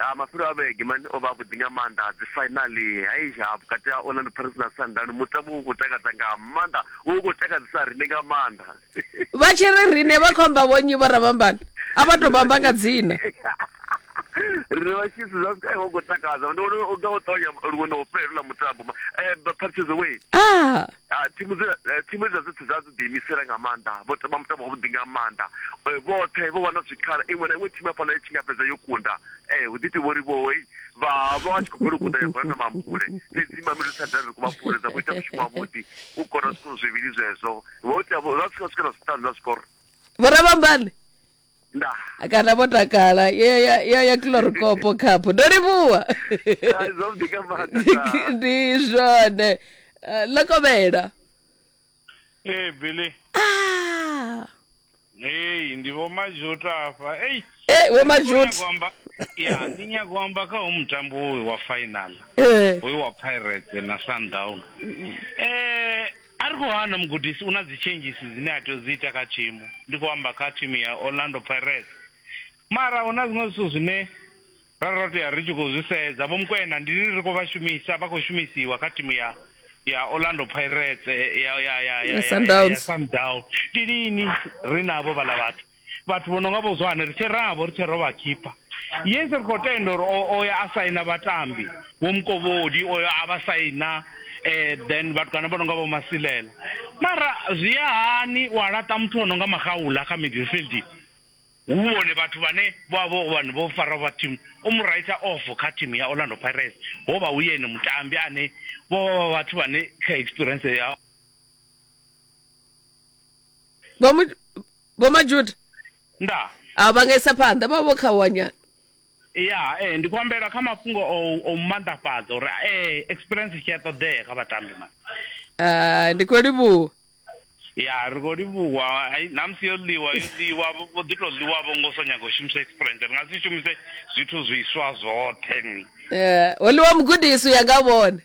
Ha mafhelo a vhege, Mane o vha avhuḓi nga maanḓa. Dzifainaḽi, Hei-ha, vhukati ha Orlando Pirates na Sundowns, mutambo wo vha u khou takadza nga maanḓa, wo vha u khou takadzesa riṋe nga maanḓa. Vha tshi ri riṋe vha khou amba vhonnyi vho Ramambana? A vha tou vha amba nga dzina. Riṋe vhatshisi zwa Sky ho ngo takadza, ndi vhona u nga ho ṱavhanya luṅwe na u fhela houḽa mutambo, Parity's away. Ah! Ha, thimu dzi, eh, thimu dza dzoṱhe dza dzi ḓiimisela nga maanḓa, vho tamba mutambo wavhuḓi nga maanḓa. Eh, vhoṱhe vho wana zwikhala, iṅwe na iṅwe thimu hafhaḽa i tshi nga fhedza yo kunda. Eh, hu ḓi pfi vho Livhoho hei, vha vha vha tshi khou bvela u kunda ya gwana na Mampule. Fhedzi Mamelodi Sundowns ri khou vha funa, dza vho ita mushumo wavhuḓi, u kora zwikoro zwivhili zwezwo. Vho ita, vho- vha swika swika na zwiṱanu na zwikoro. Vho Rabambani. ndaa kana vho takala yo ya- yo ya kilorikopo khaphu ndo livhuwa Hai, zwavhuḓi nga maanḓa ndaa. ndi zwone Eh, ḽa kovhela ee billy Ah, ei ndi vho mazhuta hafha ei eh, vho mazhut Ndi nyago amba- ya ndi nyago u amba kha ho mutambo uyu wa final Eh, uyu wa pirates na sundown eh A ri khou hana mugudisi u na dzitshenzhisi dzine a tea u dzi ita kha thimu, ndi khou amba kha thimu ya Orlando Pirates. Mara hu na zwiṅwe zwithu zwine ra ro tea ri tshi khou zwi sedza. Vho Mokoena ndi ri khou vha shumisa, vha khou shumisiwa kha thimu ya ya Orlando Pirates ya ya ya ya ya Sundowns. Ndi lini ri navho vhaḽa vhathu? vhathu vho no nga vho zwane ri tshe ravho ri tshe ro vha khipha yes ri khou tenda uri o ya a saina vhatambi vho mukovhodi oyo a vha saina um then vhatukana vho no nga vho masilela mara zwi ya hani wa laṱa muthu o no nga magaula kha midfield hu vhone vhathu vhane vho vha vho vhane vho fara vha team o mu raitha off kha team ya orlando pirates ho vha hu yene mutambi ane vho vha vha vhathu vhane kha experience ya vho majuda nda a vha nga isa phanḓa vha vha vho khawanyana ya eh ndi khou ambela kha mafhungo o o mmanḓafhadza uri eh experience tshi a ṱoḓea kha vhatambi mani Ah, ndi khou livhuwa ya ri khou livhuwa ai, namusi yo ḽiwa yo ḽiwa vho vho ḓi tou ḽiwa vho ngo so nyaga u shumisa experience ri nga si shumise zwithu zwiswa zwoṱhe ni Eh, ho ḽiwa mugudisi u ya nga vhone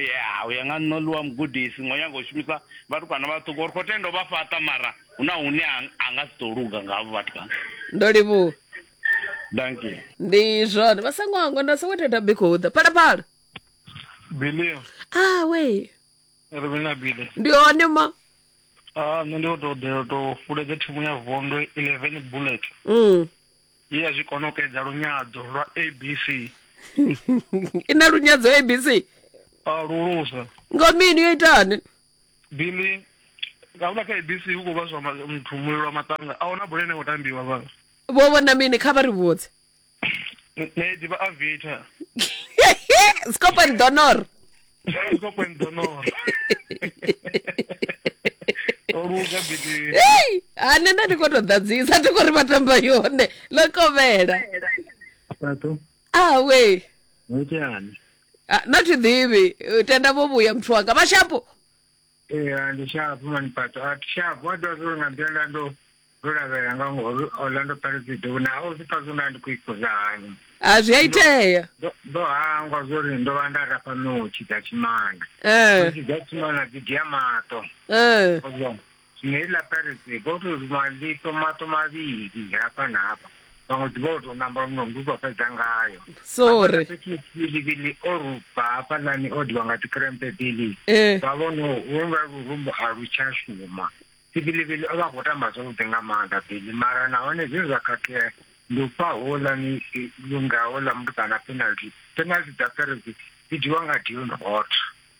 ya u ya nga nṋe ḽiwa mugudisi ngo nyaga u shumisa vhatukana vhaṱuku uri khou tenda u vha fhaṱa mara hu na hune a nga si ḓo luga ngavho vhatukana ndo livhuwa danki ndi zwone vha songo hangwa nda songo theta bikhuḓa phalaphala bilio awe ah, ri vhina bile ndi hone ma a ah, nṋe ndi khou tou ḓela tou fuledza thimu ya vondo eleven bullet mm. ye ya zwi konokedza lunyadzo lwa abc i na lunyadzo abc a lulusa nga mini yo itani bili ngaula kha abc hu khou vhaswa ma- muthu mulilo wa maṱanga a huna bola ine khou tambiwa vha vho vhona mini kha vha ri vhudze nṋe ḓivha avita scopan donor Uko kwenza no. Oruga bidi. Hey, a nṋe nda ndi khou tou ḓadzisa thi khou ri vha tamba yone ḽo kovhela Pato. awe Ngitani. Ah, na thi ḓivhi Eh, tenda vho vhuya muthu wanga mashapo ee a ndi shapo maniphato a thi shapo a dovha zwo nga nḓila nda ndo ndo lavhelela nga ngori ola ndo pharedzido vhune ha u zwi pfa zwo nda ndi khou ikuza hani a zwi a itea Ndo- ndo hangwa zwori ndo vha nda rafha notshi dza tshimana Eh, notshi dza tshimana dzi dia maṱo eh. zwino heiḽa pharedzi go to maḽito maṱo mavhili hafha na hafha vhaṅwe ḓivha o tou namba muṅwe mndu uto fhedza ngayo sorry bilibili o rupa hafhaḽani o diwa nga dzikrempe bili eh. vha vhono vha lurumbu a lu tsha shuma sibilibili o vha khou tamba zwavhuḓi nga maanḓa bili mara nahone zwine zwa khakhea ndi u fha houḽani lunga houḽa mutukana penalty penalty dza pferezi dzi dzhiwa nga dion hot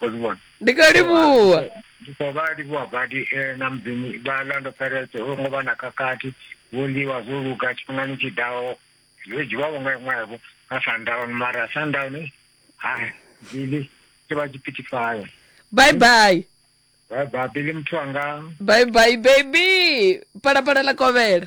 o zwi vhona ndi kha livhuwa ndi khou vha livhuwa badi eh, na mudzimu vha lando peretse ho ngo vha na khakhathi vho ḽiwa zwo luga tshifhingani tshi ḓaho zwo dzhiwavho nga iṅwevho nga sundown mara sundown eh, hai bili tshi vha tshipitifayo bye bye bye bye bili muthu anga bye bye baby palapala ḽa kovhela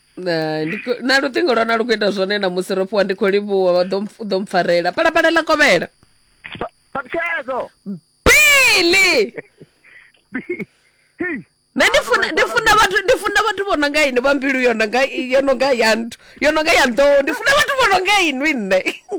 Na- ndi khou- na luṱingo lwa na lu khou ita zwone na musi ro fhiwa ndi khou livhuwa vha ḓo mpf- u ḓo mpfarela palapala ḽa kovhela Sabikezo. pili na ndi funa ndi funa vhathu ndi funa vhathu vho no nga ini vha mbilu yo no nga yo no nga ya nthu yo no nga ya nḓou ndi funa vhathu vho no nga inwi nṋe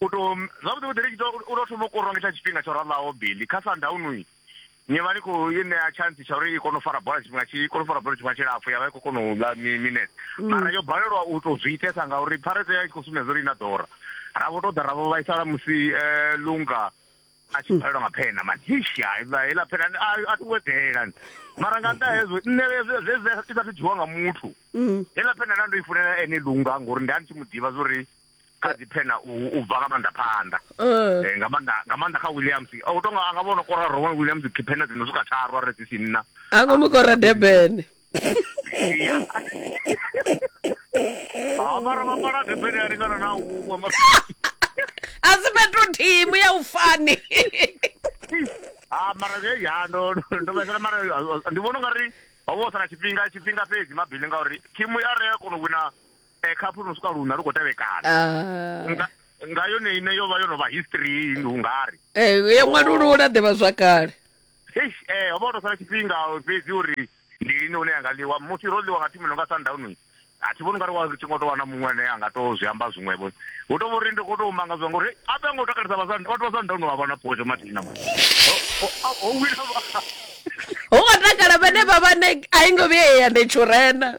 u to zwavhuḓi vhuḓi ri tshi tou u tou thoma u korwa nga tsha tshifhinga tsho ralaho Billy kha Sundown ni vha ni khou i ṋea chance tsha uri i kone u fara bola tshifhinga tshi kone u fara bola tshifhinga tshilapfu ya vha i khou kona u ḽa minete mm. mara yo balelwa u tou zwi itesa ngauri pharete ya i khou sumbedza uri i na ḓora ra vho tou ḓa ra vho vhaisala musi eh, lunga a tshi bvalelwa nga phena matisha iḽa phena a ti wedela mara nga nṱha hezwo nṋe zvezwi i sa thu dzhiwa nga muthu heiḽa mm. phena nda ndo i funela ene lunga ngori nda ndi tshi mu ḓivha zwa uri kha dzi phena u bva nga maanḓa phanḓa uh. eh, nga maanḓa nga maanḓa kha williams o oh, tonga a nga vhono kora rowan williams phena dzino swika tharu a re dzi si nna a ngo mu kora durban mara vha mala durban a lingana na uwe a si fhethu thimu ya u fani ah, mara ya ndo ndo vhaisala mara ndi vhona u nga ri ho vha u sala tshifhinga tshifhinga fhedzi mabili ngauri thimu ya re a kona u wina eh, khaphu no swika luna lu khou tevhekana ah. nga, nga yone ine yo vha yo no vha history hungari eh, ya ṅwalulula ḓivha zwakale eish eh ho vha o to sala tshifhinga fhedzi uri ndi lini hune yanga ḽiwa musi ro ḽiwa nga thimu no nga sundown a thi vhoni ungari wa tshi ngo to wana muṅwe ane a nga to zwi amba zwiṅwevho hu to vhori ndi khou to manga zwa ngori a vhe ngo takalisa vhathu vha sundown vha vhona photo mathina o wina ho nga takala vhane vha vhane a i ngo vhuya ya ndetshurena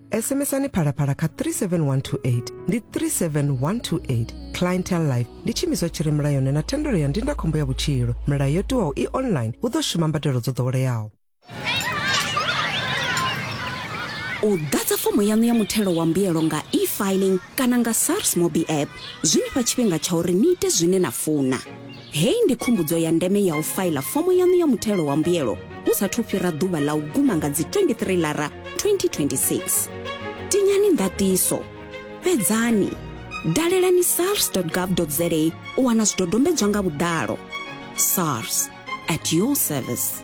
sms-ani phalaphala kha 37128 ndi 37128 clientele life ndi tshiimiswa tshi re mulayoni na thendelo ya ndindakhombo ya vhutshilo milayo yo tiwaho i online hu ḓo shuma mbadelo dzo ḓoweleaho u ḓadza fomo yaṋu ya muthelo wa mbuyelo nga e-filing kana nga sars mobi app zwi ni fha tshifhinga tsha uri ni ite zwine na funa Heyi ndi khumbudzo ya ndeme ya u faila fomo yaṋu ya muthelo wa mbuyelo hu sa thu fhira ḓuvha ḽa u guma nga dzi 23 lara 2026. Tinyani ndaṱiso, fhedzani, dalelani sars.gov.za u wana zwidodombedzwa nga vhuḓalo. SARS at your service.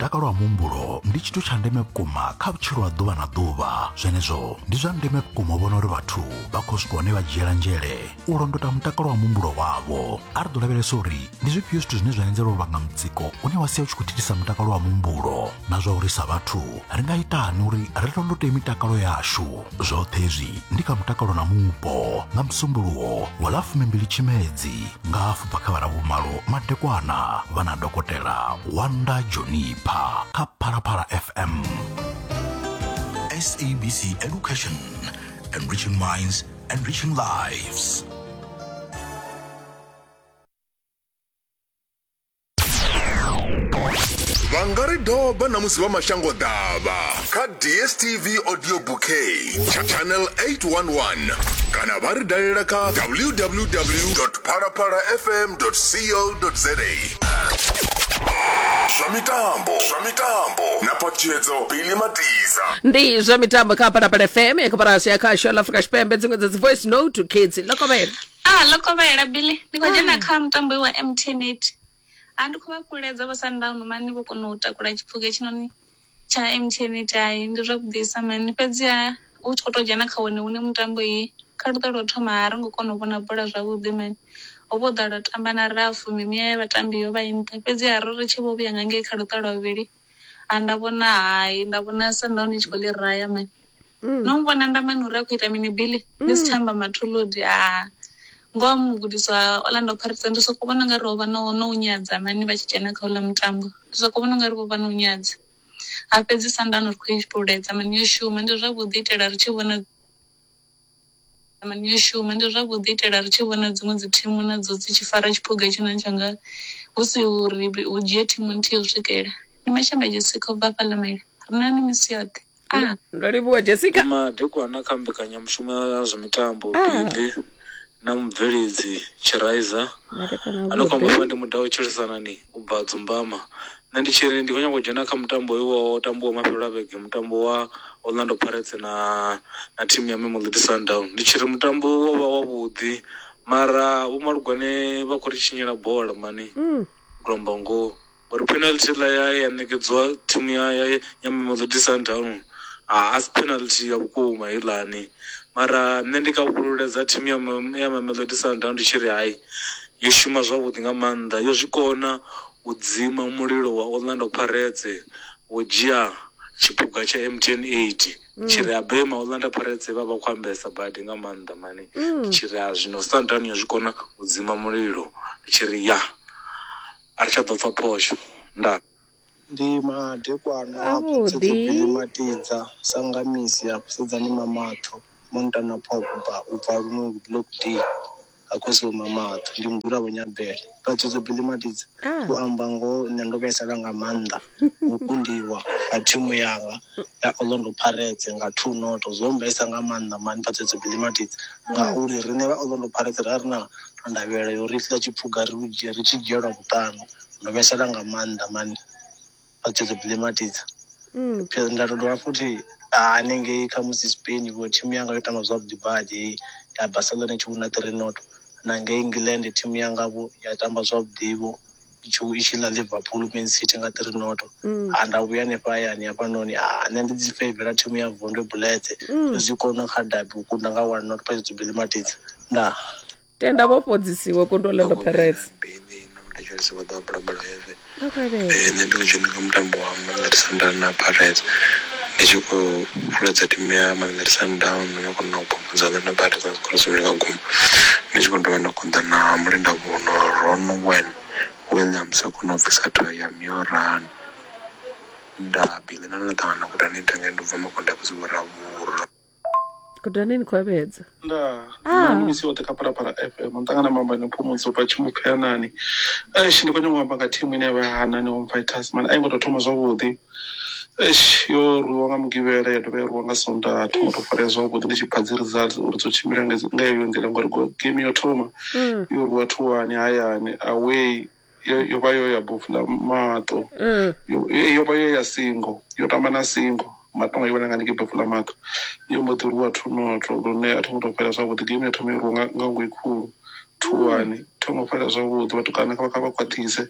mutakalo wa muhumbulo ndi tshithu tsha ndeme vhukuma kha vhutshilo ha ḓuvha na ḓuvha zwenezwo ndi zwa ndeme vhukuma u vhona uri vhathu vha khou swika hone vha dzhiela nzhele u londota mutakalo wa muhumbulo wavho a ri ḓo lavhelesa uri ndi zwifhio zwithu zwine zwa anzela u vhanga mutsiko une wa sia u tshi khou thithisa mutakalo wa muhumbulo na zwa uri sa vhathu ri nga itani uri ri londote mitakalo yashu zwoṱhe hezwi ndi kha mutakalo na mupo nga musumbuluwo wa ḽa fumimbili tshimedzi nga hafu bva kha vhara vhumalo madekwana vha na dokotela wanda jonipha kha phalaphala fm sabc education enriching minds enriching lives vha nga ri doba na musi vha mashango ḓavha kha dstv audio bouquet tsha channel 811 kana vha ri dalela kha www phalaphala fm co za zwa mitambo zwa mitambo na phaṱhutshedzo bili matiza ndi zwa mitambo kha phalaphala fm ya koporasi ya khasho la afrika tshipembe dziṅwe dza dzi voice note kids ḽo kovhela A ḽo kovhela Billy, ni khou dzhena kha mutambo we wa MTN 8. Ha ndi khou vha fhululedza vha Sundown mani vho kona u takula tshiphuga hetshinoni tsha MTN 8. Hai ndi zwavhuḓisa mani fhedziha hu tshi khou tou dzhena kha wone une mutambo he kha luṱa lwa u thoma ha ri ngo kona u vhona bola zwavhuḓi mani ho vha ho ḓala u tamba na rafu mimuya ya vhatambi yo vha i nṱha fhedziha ro ri tshi vho vhuya nga ngei kha luṱa lwa vhuvhili ha nda vhona hai nda vhona Sundown i tshi khou ḽi raya mani. Mm. no mu vhona ndamani uri a khou ita mini billy ndi si tsha amba matholodi a ngoho mugudiswa orlando pirates ndi soko vhona nga ri ho vha no no u nyadza mani vha tshi dzhena kha uḽa mutambo ndi soko vhona nga ri vho vha no u nyadza ha fhedzi sandano ri khou i fhululedza mani yo shuma ndi zwavhuḓi itela ri tshi vhona Mani yo shuma ndi zwavhuḓi itela ri tshi vhona dziṅwe dzi thimu na dzo dzi tshi fara tshiphuga tshi na tshanga hu si uri hu dzhie thimu nthihi u swikela ni mashamba Jessica u bva hafha Lamela ri na ni misi yoṱhe a Ndo livhuwa Jessica. Madekwana kha mbekanyamushumo ya zwa mitambo Billy na mubveledzi Tshiraiza. Madekwana a Ano vhuḓi. kwambiwa ndi Mudau Tshilisanani u bva Dzumbama, Nṋe ndi tshi ri ndi khou nyanga u dzhena kha mutambo hoyu wa u tambiwa mafhelo a vhege mutambo wa Orlando Pirates na na thimu ya Mamelodi Sundowns. Ndi tshi ri mutambo wo vha wa vhuḓi mara vho Malugwane vha khou ri tshinyela bola mani ndo amba ngoho ngori penalty heiḽa ya ya ṋekedziwa thimu ya ya ya Mamelodi Sundowns a a si penalty ya vhukuma heiḽani. Mara nṋe ndi kavhululedza thimu ya ya Mamelodi Sundowns ndi tshi ri hai yo shuma zwavhuḓi nga maanḓa yo zwikona U dzima mulilo wa Orlando Pirates wo dzhia tshiphuga tsha MTN 8 mm. tshi ri abema Orlando Pirates vha vha khou ambesa badi nga maanḓa mani mm. tshi ri a zwino Sundowns yo zwi kona u dzima mulilo tshi ri ya a ri tsha ḓo pfa phosho nda ndi madekwana avhuḓi matidza sangamisi a kusedzani mamatho montana pogba u bva luno block d ha khosi vho mamaṱo ndi mudzula vho nyabele vhatshutso bili madidzi u amba ngoho nṋe ndo vhaisala nga maanḓa u kundiwa ha thimu yanga ya orlando pirates nga two noto zwo mbaisa nga maanḓa mani vhatshutso bili madidzi ngauri riṋe vha orlando pirates ra ri na ndavhelelo yo ri ḽa tshipfuga ri tshi dzhielwa vhuṱanu ndo vhaisala nga maanḓa mani vha tshi ḓo bilematidza Mm. Because nda to dovha futhi ah, hanengei khamusi spain vho thimu yanga yo tamba zwavhuḓi badi heyi ya barcelona i tshi wina three not na ngei england thimu yangavho ya tamba zwavhuḓivho i tshi i tshi ḽa liverpool man city nga three not Mm. ha nda vhuya hanefha hayani hafhanoni ah, nṋe ndi dzi favela thimu ya vondwe buletse Mm. zwi kona kha dabi u kunda nga one not paidzo bilematidza ndaa tenda vho fhodzisiwe kondolelo pherese nṋe ndi dzheni kha mutambo wa mamelodi sundowns na pirates ndi tshi khou fuledza timu ya mamelodi sundowns ndo no kona u pomodza ḽa na pirates na zwikoro zwivhili kha guma ndi tshi khou dovha nda konḓa na mulinda vhuno ron wen william sa kona u bvisa thayo ya mioran nda biḽi na ḽo ṱangana guda ni ita ngei ndi bva makonde a vhusi vho ravhura kudaneni kwavhedza ndaa ah. nani misi yote kaparapara fm ndangana mamba nepumudzo pachimupheyanani esh ndi kwenye ngwamba nga thimu ine yavhahana ni homfighters mani aingo to thoma zwavhuḓi esh yo rwiwa nga mugivhela ya dovha ya rwiwa nga sonda thoma to farea zwavhuḓi ndi tshi pha dzi results uri dzo tshimbila nga yeyo nḓila ngori game yo thoma mm. yo rwiwa thuwani hayani away yo, yo vha yo ya bofu na maṱo mm. yo, yo vha yo ya singo yo tamba na singo matonga yo vha nanga ndike bofu la maṱo yo mbo ḓi rwiwa thunotho lune a tho ngo tou fhela zwavhuḓi game yo thoma i rwiwa nga ngoi khulu thuwani mm. tho ngo fhela zwavhuḓi vhathu kana kha vha kha vha khwaṱhise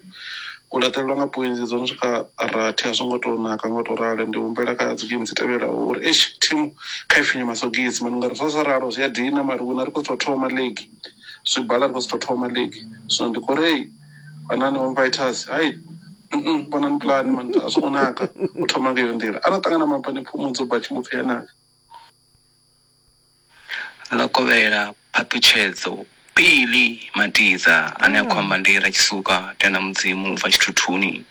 u laṱelelwa nga poinzi dzo no swika rathi a zwo ngo tou naka ngo tou ralo ndi humbela kha dzi game dzi tevhelaho uri esh thimu kha i finye masogisi mani nga ri zwa sa ralo zwi a dina mari wina ri khou tou thoma league zwibala ri khou sitho thoma league zwino ndi khou rei vhanani home fighters hai vhonani pulani man a zwi khou naka u thoma nga iyo nḓila ara ṱangana mapani pfumo dzo bva tshimu pfhi anaka ḽo kovhela phaṱhutshedzo pili matidza ane a khou amba ndi ra tshisuka tenda mudzimu u bva tshithuthuni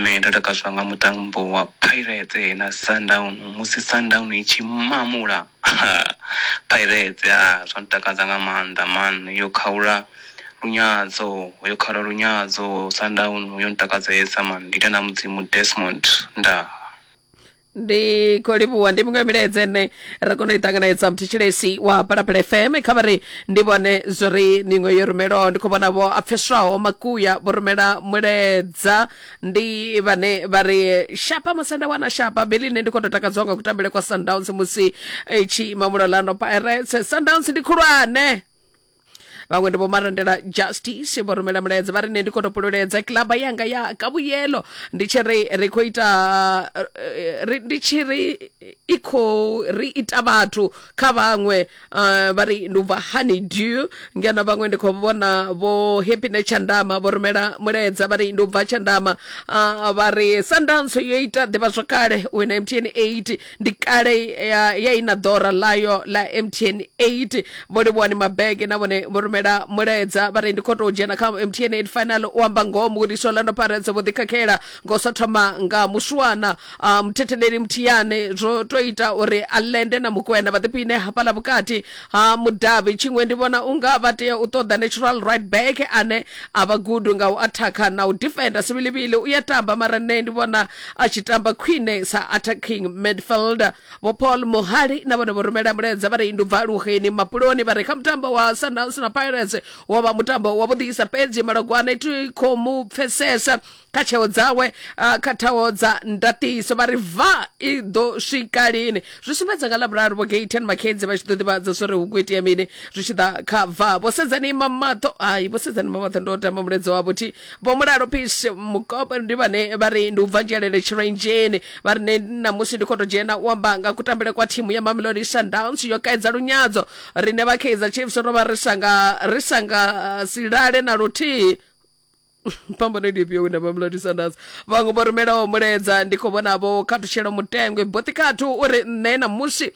Nṋe ndo takadzwa nga mutambo wa Pirates na Sundowns musi Sundowns i tshi mamula Pirates ha zwo ntakadza nga maanḓa maanḓa yo khaula lunyadzo yo khaula lunyadzo Sundowns yo ntakadzesa maanḓa ndi ita na Mudzimu Desmond ndaa. ndi khou livhuwa ndi miṅwe milaedza ene ra kona u i ṱanganedza muthetshelesi wa palapala fm kha vha ri ndi vhone zwo ri miṅwe yo rumelwaho ndi khou vhona vho a pfeswaho makuya vho rumela muledza ndi vhane vha ri shapa musi nda wana shapa beli nne ndi khou tou takadziwa nga kutambele kwa sundowns musi i tshi ima mulolano pirates sundowns ndi khulwane vhaṅwe ndi vho marandela justice vho rumela mulaedza vha ri nṋe ndi khou topololedza kilaba yanga ya kavhuyelo ndi tshi ri ri khou ita eh, ri- ndi tshi ri i khou ri ita vhathu kha vhaṅwe eh, vha ri ndi u bva honey dew ngeno vhaṅwe ndi khou vhona vho happine tshandama vho rumela mulaedza vha ri ndi u bva tshandama Ah, vha ri sandanso yo ita ḓivhazwakale wina mtn 8 ndi kale ya, ya ina ḓora ḽayo ḽa mtn 8 vho livhuwani mabege na vhone vho rumela mulaedza vha ri ndi khou tou dzhena kha mtn 8 final u amba ngoho mugudiswa orlando pirates vho ḓikhakhela ngo sa thoma nga muswana uh, muthetheleli mthiyane zwo to ita uri a lende na mukwena vha ḓipine hafhaḽa vhukati ha mudavhi tshiṅwe ndi vhona unga vha tea u ṱoḓa natural right back ane a vha gudu nga u athakha na u defenda sivhilivhili u ya tamba mara nṋe ndi vhona a tshi tamba khwine sa attacking midfielder vho paul muhali na vhone vho rumela mulaedza vha ri ndi ubva luheni mapuloni vha ri kha mutambo wa sundowns na pirates wo vha mutambo wa vhuḓisa fhedzi malogwane ti khou mu pfesesa kha tsheo dzawe ah, kha thaho dza ndatiso vha ri va i ḓo swika lini zwi sumbedza nga lavhuraru vho gaten makedzi vha tshi ḓo ḓivhadza zwo ri hu khou itea mini zwi tshi ḓa kha va vho sedzani mamaṱo ai vho sedzani mamaṱo ndo tamba muledzwa wavho thi vho mulalo peace mukope ndi vhane vha ri ndi u bva nzhelele tshirenzheni vha ri ne ṋamusi ndi khou tou dzhena u amba nga kutambele kwa thimu ya mamelodi sundowns yo kaidza lunyadzo rine vha kaizer chiefs ro vha ri sa nga ri sa nga uh, si lale na luthihi phambano ndi ifhio wina mamelodi sundowns vhaṅwe vho rumelaho muledza ndi khou vhona vho khathutshela mutengwe boṱi khathu uri nṋe ṋamusi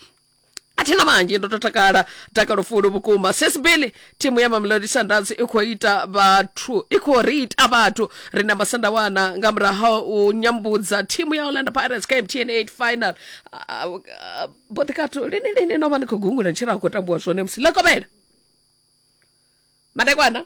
athina vhanzhi ndo to takala takalo fulu vhukuma sis billy thimu ya mamelodi sundowns i khou ita vhathu i khou ri ita vhathu ri na masanda wana nga murahu u nyambudza thimu ya orlando pirates kha mtn 8 final boḓikato lini lini no vha ni khou gungula ntshira a khou tambiwa zwone musi ḽa kovhela madekwana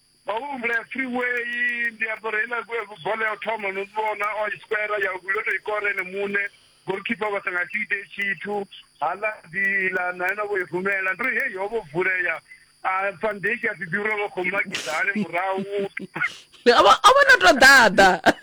vha vho humbula freeway ndi apara heiḽa bola ya u thoma no vhona o i square ya vhuvhili o to i kora ene muṋe golkipa vha sa nga si ite tshithu hala dila na yena vho i rumela ndi ri heyi ho vho vulea a fandeki a ḓi ḓi uri vha khou makisa hani murahu a vho no to ḓaḓa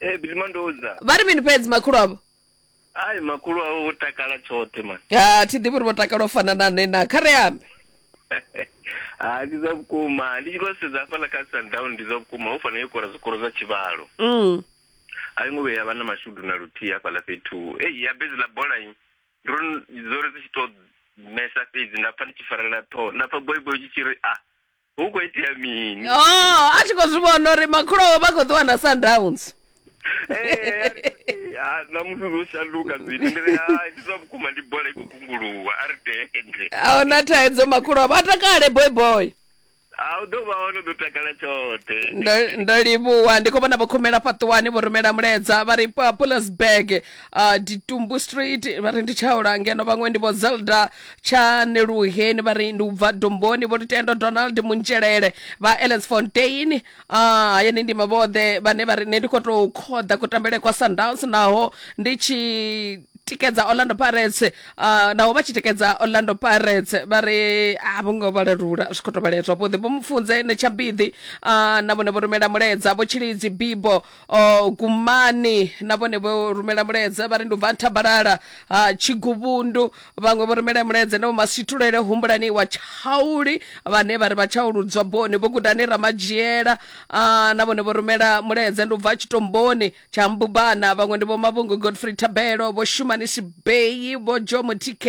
Eh bizima ndoza. vha ri mini fhedzi makhulu avho Ai makulu awo vho takala tshoṱhe man. ha thi ḓivhi uri vho takala u fana na nṋe na kha ri ambe Ah ndi zwa vhukuma. Ndi tshi khou sedza hafha la kha Sundown ndi zwa vhukuma. Ho fanela yo kora zwikoro zwa tshivhalo. Mm. A yi ngo vhuya ya vha na mashudu na luthihi hafha la fhethu. Eh ya bezi la bola yi. Ndi uri ndi uri dzi tshi to mesa fhedzi nda pfa ndi tshi farelela ṱhoho. Nda pfa boy boy tshi tshi ri ah hu khou itea mini oh a tshi khou zwi vhona uri makhulu awe vha khou ṱuwa na sundowns Eh, ah, ṋamusi zwo shanduka zwithu ndi ri hai ndi zwa vhukuma ndi bola i khou kunguluwa a ri tende ahuna thaidzo makhulu awe vha takale boy boy a u ḓo vha hone u ḓo takala tshoṱhe ndo ndo livhuwa ndi khou vhona vho khumela fhaṱuwani vho rumela mulaedza vha ri pa pulasburg uh, ditumbu street vha ri ndi tshaula ngeno vhaṅwe ndi vho zelda tshaneluheni vha ri ndi u bva domboni vho lutendo donald muntshelele vha ls fontein ah, hayani ndima vhoṱhe vhane vha ri nṋe ndi khou tou khoḓa kutambele kwa sundowns naho ndi tshi tikedza orlando pirates uh, naho vha tshi tikedza orlando pirates vha ri a vho ngo vhalerula zwi khou tou vhalea zwavhuḓi vho mufunze ne tshabiḓi uh, na vhone vho rumela mulaedza vho tshilidzi bibo o gumani na vhone vho rumela mulaedza vha ri ndi u bva nthabalala ha tshiguvhundu vhaṅwe vho rumela mulaedza na vhomasitulele humbulani wa tshauli vhane vha ri vha tshauludzwa boni vho gudani ramadzhiela ah, na vhone vho rumela mulaedza ndi u bva tshitomboni tsha mbubana vhaṅwe ndi vho mavhungu godfrey thabelo vho shumani sibeyi vho jo mutk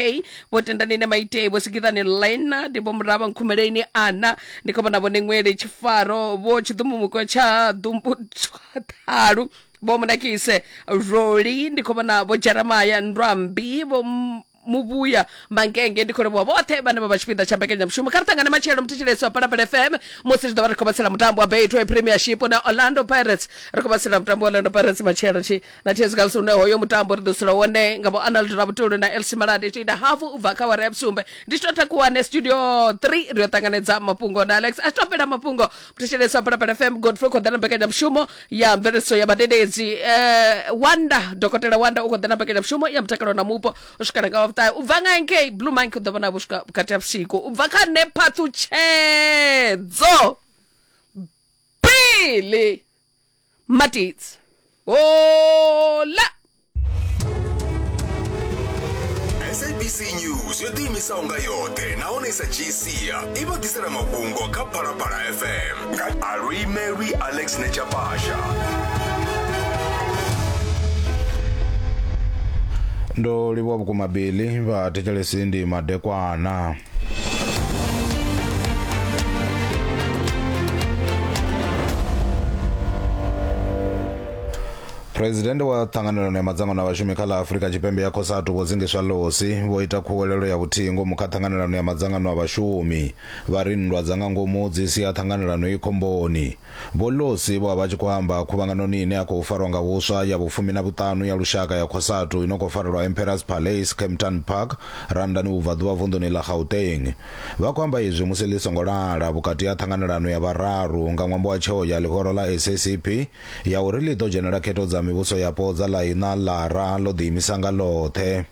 vho tendani ne maitei vho sikiḓani lena ndi vho murava nkhumeleni ana ndi khou vhona vhone ṅwele tshifaro vho tshiḓumumuko tsha ḓumbutswa ṱhalu vho munakise roli ndi khou vhona vho jeremaya ndwambi vho M- muvhuya mangenge ndi khou livhuwa vhoṱhe vhane vha vha tshipiḓa tsha mbekanyamushumo kha ri ṱangane matshelo muthetshelesi wa palapala fm musi ri ḓo vha ri khou vhatsela mutambo wa betway premiership na orlando pirates ri khou vhatsela mutambo wa orlando pirates matshelo tshi na thezi kha lusune hoyo mutambo ri ḓo sula wone nga vho anald rabutulu na elsi malade tshi ita hafu u bva kha wara ya vhusumbe ndi tshi to takuwane studio 3 ri yo ṱanganedza mafhungo na alex a tshi to fhela mafhungo mthetshelesa phalaphala fm godfrey khou ḓa na mbekanyamushumo ya mveledziso ya vhadededzi eh, wanda dokotela wanda u khou ḓa na mbekanyamushumo ya mutakalo na mupo u swikela nga wavhuṱahe u bva nga nkei blue mine u ḓo vhona vhu swika vhukati ha vhusiku u bva kha nephaṱhutshedzo bili Matits. Hola! sabc news yo ḓiimisaho nga yoṱhe nahone i sa dzhii sia i vho ḓisela mafhungo kha phalaphala fm nga alwi mary alex nechapasha ndo livhuwa vhukuma bili vha thetshelesi ndi madekwana phuresidennde wa ṱhanganelano ya madzangano a vhashumi kha ḽa afurika tshipembe ya cosatu vho dzingiswa losi vho ita khuwelelo ya vhuthihi ngomu kha ṱhanganelano ya madzangano a vhashumi vha ri nndwa dza nga ngomu dzi sia ṱhanganelano i khomboni Vho Losi vho vha vha tshi khou amba khuvhanganoni ine ya khou farwa nga huswa ya vhufumi na vhuṱanu ya lushaka ya Cosatu i no khou farelwa Emperors Palace, Kempton Park, Randani Vhubvaḓuvha vunḓuni ḽa Gauteng. Vha khou amba izwi musi ḽi songo lala vhukati ha ṱhanganelano ya vhararu nga ṅwambo wa tsheo ya ḽihoro ḽa SACP ya uri ḽi ḓo dzhenela khetho dza mivhuso yapo dza ḽa iṋa ḽara ḽo ḓiimisa nga ḽoṱhe.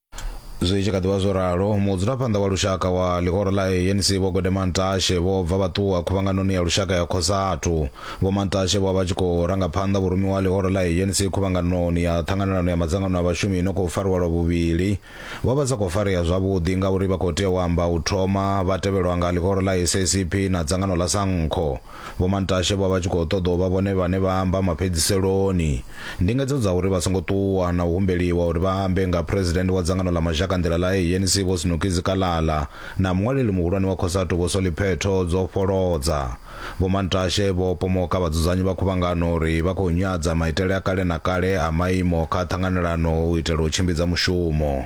zwi tshi kha ḓivha zwo ralo mudzulaphanḓa wa lushaka wa ḽihoro ḽa anc vho gode mantashe vho bva vha ṱuwa khuvhanganoni ya lushaka ya khosathu vho mantashe vho vha tshi khou ranga phanḓa vhurumi wa ḽihoro ḽa anc khuvhanganoni ya ṱhanganelano ya madzangano a vhashumi ino khou fariwa lwa vhuvhili vho vha sa khou farea zwavhuḓi ngauri vha khou tea u amba u thoma vha tevhelwa nga ḽihoro ḽa sacp na dzangano ḽa sankho Vho Mantashe vho vha tshi khou ṱoḓa u vha vhone vhane vha amba mafhedziseloni. Ndingedzo dza uri vha songo ṱuwa na u humbeliwa uri vha ambe nga Phresidennde wa dzangano ḽa mazhakanḓila ḽa ANC Vho Snoekie Zikalala na muṅwaleli muhulwane wa Cosatu Vho Solly Phetho dzo fholodza Vho Mantashe vho pomoka vhadzudzanyi vha khuvhangano uri vha khou nyadza maitele a kale na kale a maimo kha ṱhanganelano u itela u tshimbidza mushumo.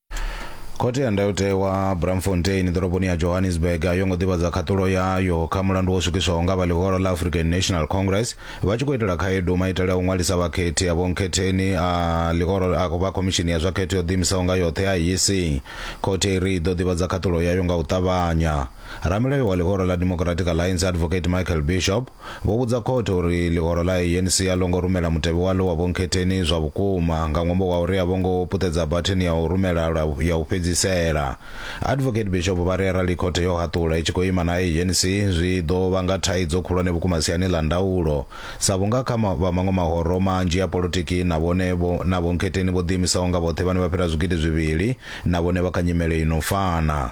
khothe ya ndayotewa bramfontein ḓoroboni ya johannesburg a yo ngo ḓivhadza khaṱulo yayo kha mulandu wo swikiswaho nga vha ḽihoro ḽa african national congress vha tshi khou itela khaedu maitele a u ṅwalisa vhakhethi a vhonkhetheni a ḽihoro a vha khomishini ya zwa khetho yo ḓiimisaho nga yoṱhe ya yisi khothe i ri i ḓo ḓivhadza khaṱulo yayo nga u ṱavhanya ramilayo wa ḽihoro ḽa democratic alliance advocate michael bishop vho vhudza khothe uri ḽihoro ḽa ANC a ḽo ngo rumela mutevhe waḽo wa vhonkhetheni zwa vhukuma nga ṅwambo wa uri a vho ngo puṱedza batheni ya u rumela lwa ya u fhedzisela. Advocate Bishop vha ri arali khothe yo haṱula i tshi khou ima na ANC zwi ḓo vhanga thaidzo khulwane vhukuma siani ḽa ndaulo sa vhunga kha vha maṅwe mahoro manzhi a polotiki na vhone vho na vhonkhetheni vho ḓiimisaho nga vhoṱhe vhane vha fhira zwigidi zwivhili na vhone vha kha nyimele i no fana.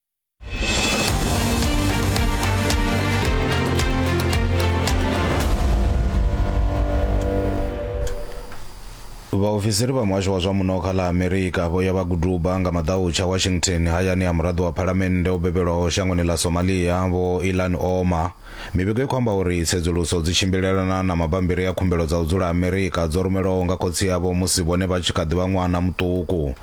vhaofisiri vha muhasho wa zwa muno kha ḽa amerika vho ya vha guduba nga maḓautsha washington hayani ya muraḓo wa phalamennde o bebelwaho shangoni ḽa somalia vho ilan oma mivhigo i khou amba uri tsedzuluso dzi tshimbilelana na mabambiri a khumbelo dza u dzula amerika dzo rumelwaho nga khotsi yavho musi vhone vha tshi kha ḓi vha ṅwana muṱuku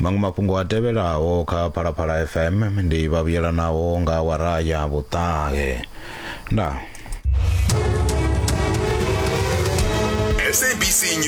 Maṅwe mafhungo a tevhelaho kha Phalaphala FM ndi vhavhuyelanaho nga awara ya vhuṱahe. Ndaa. SABC News.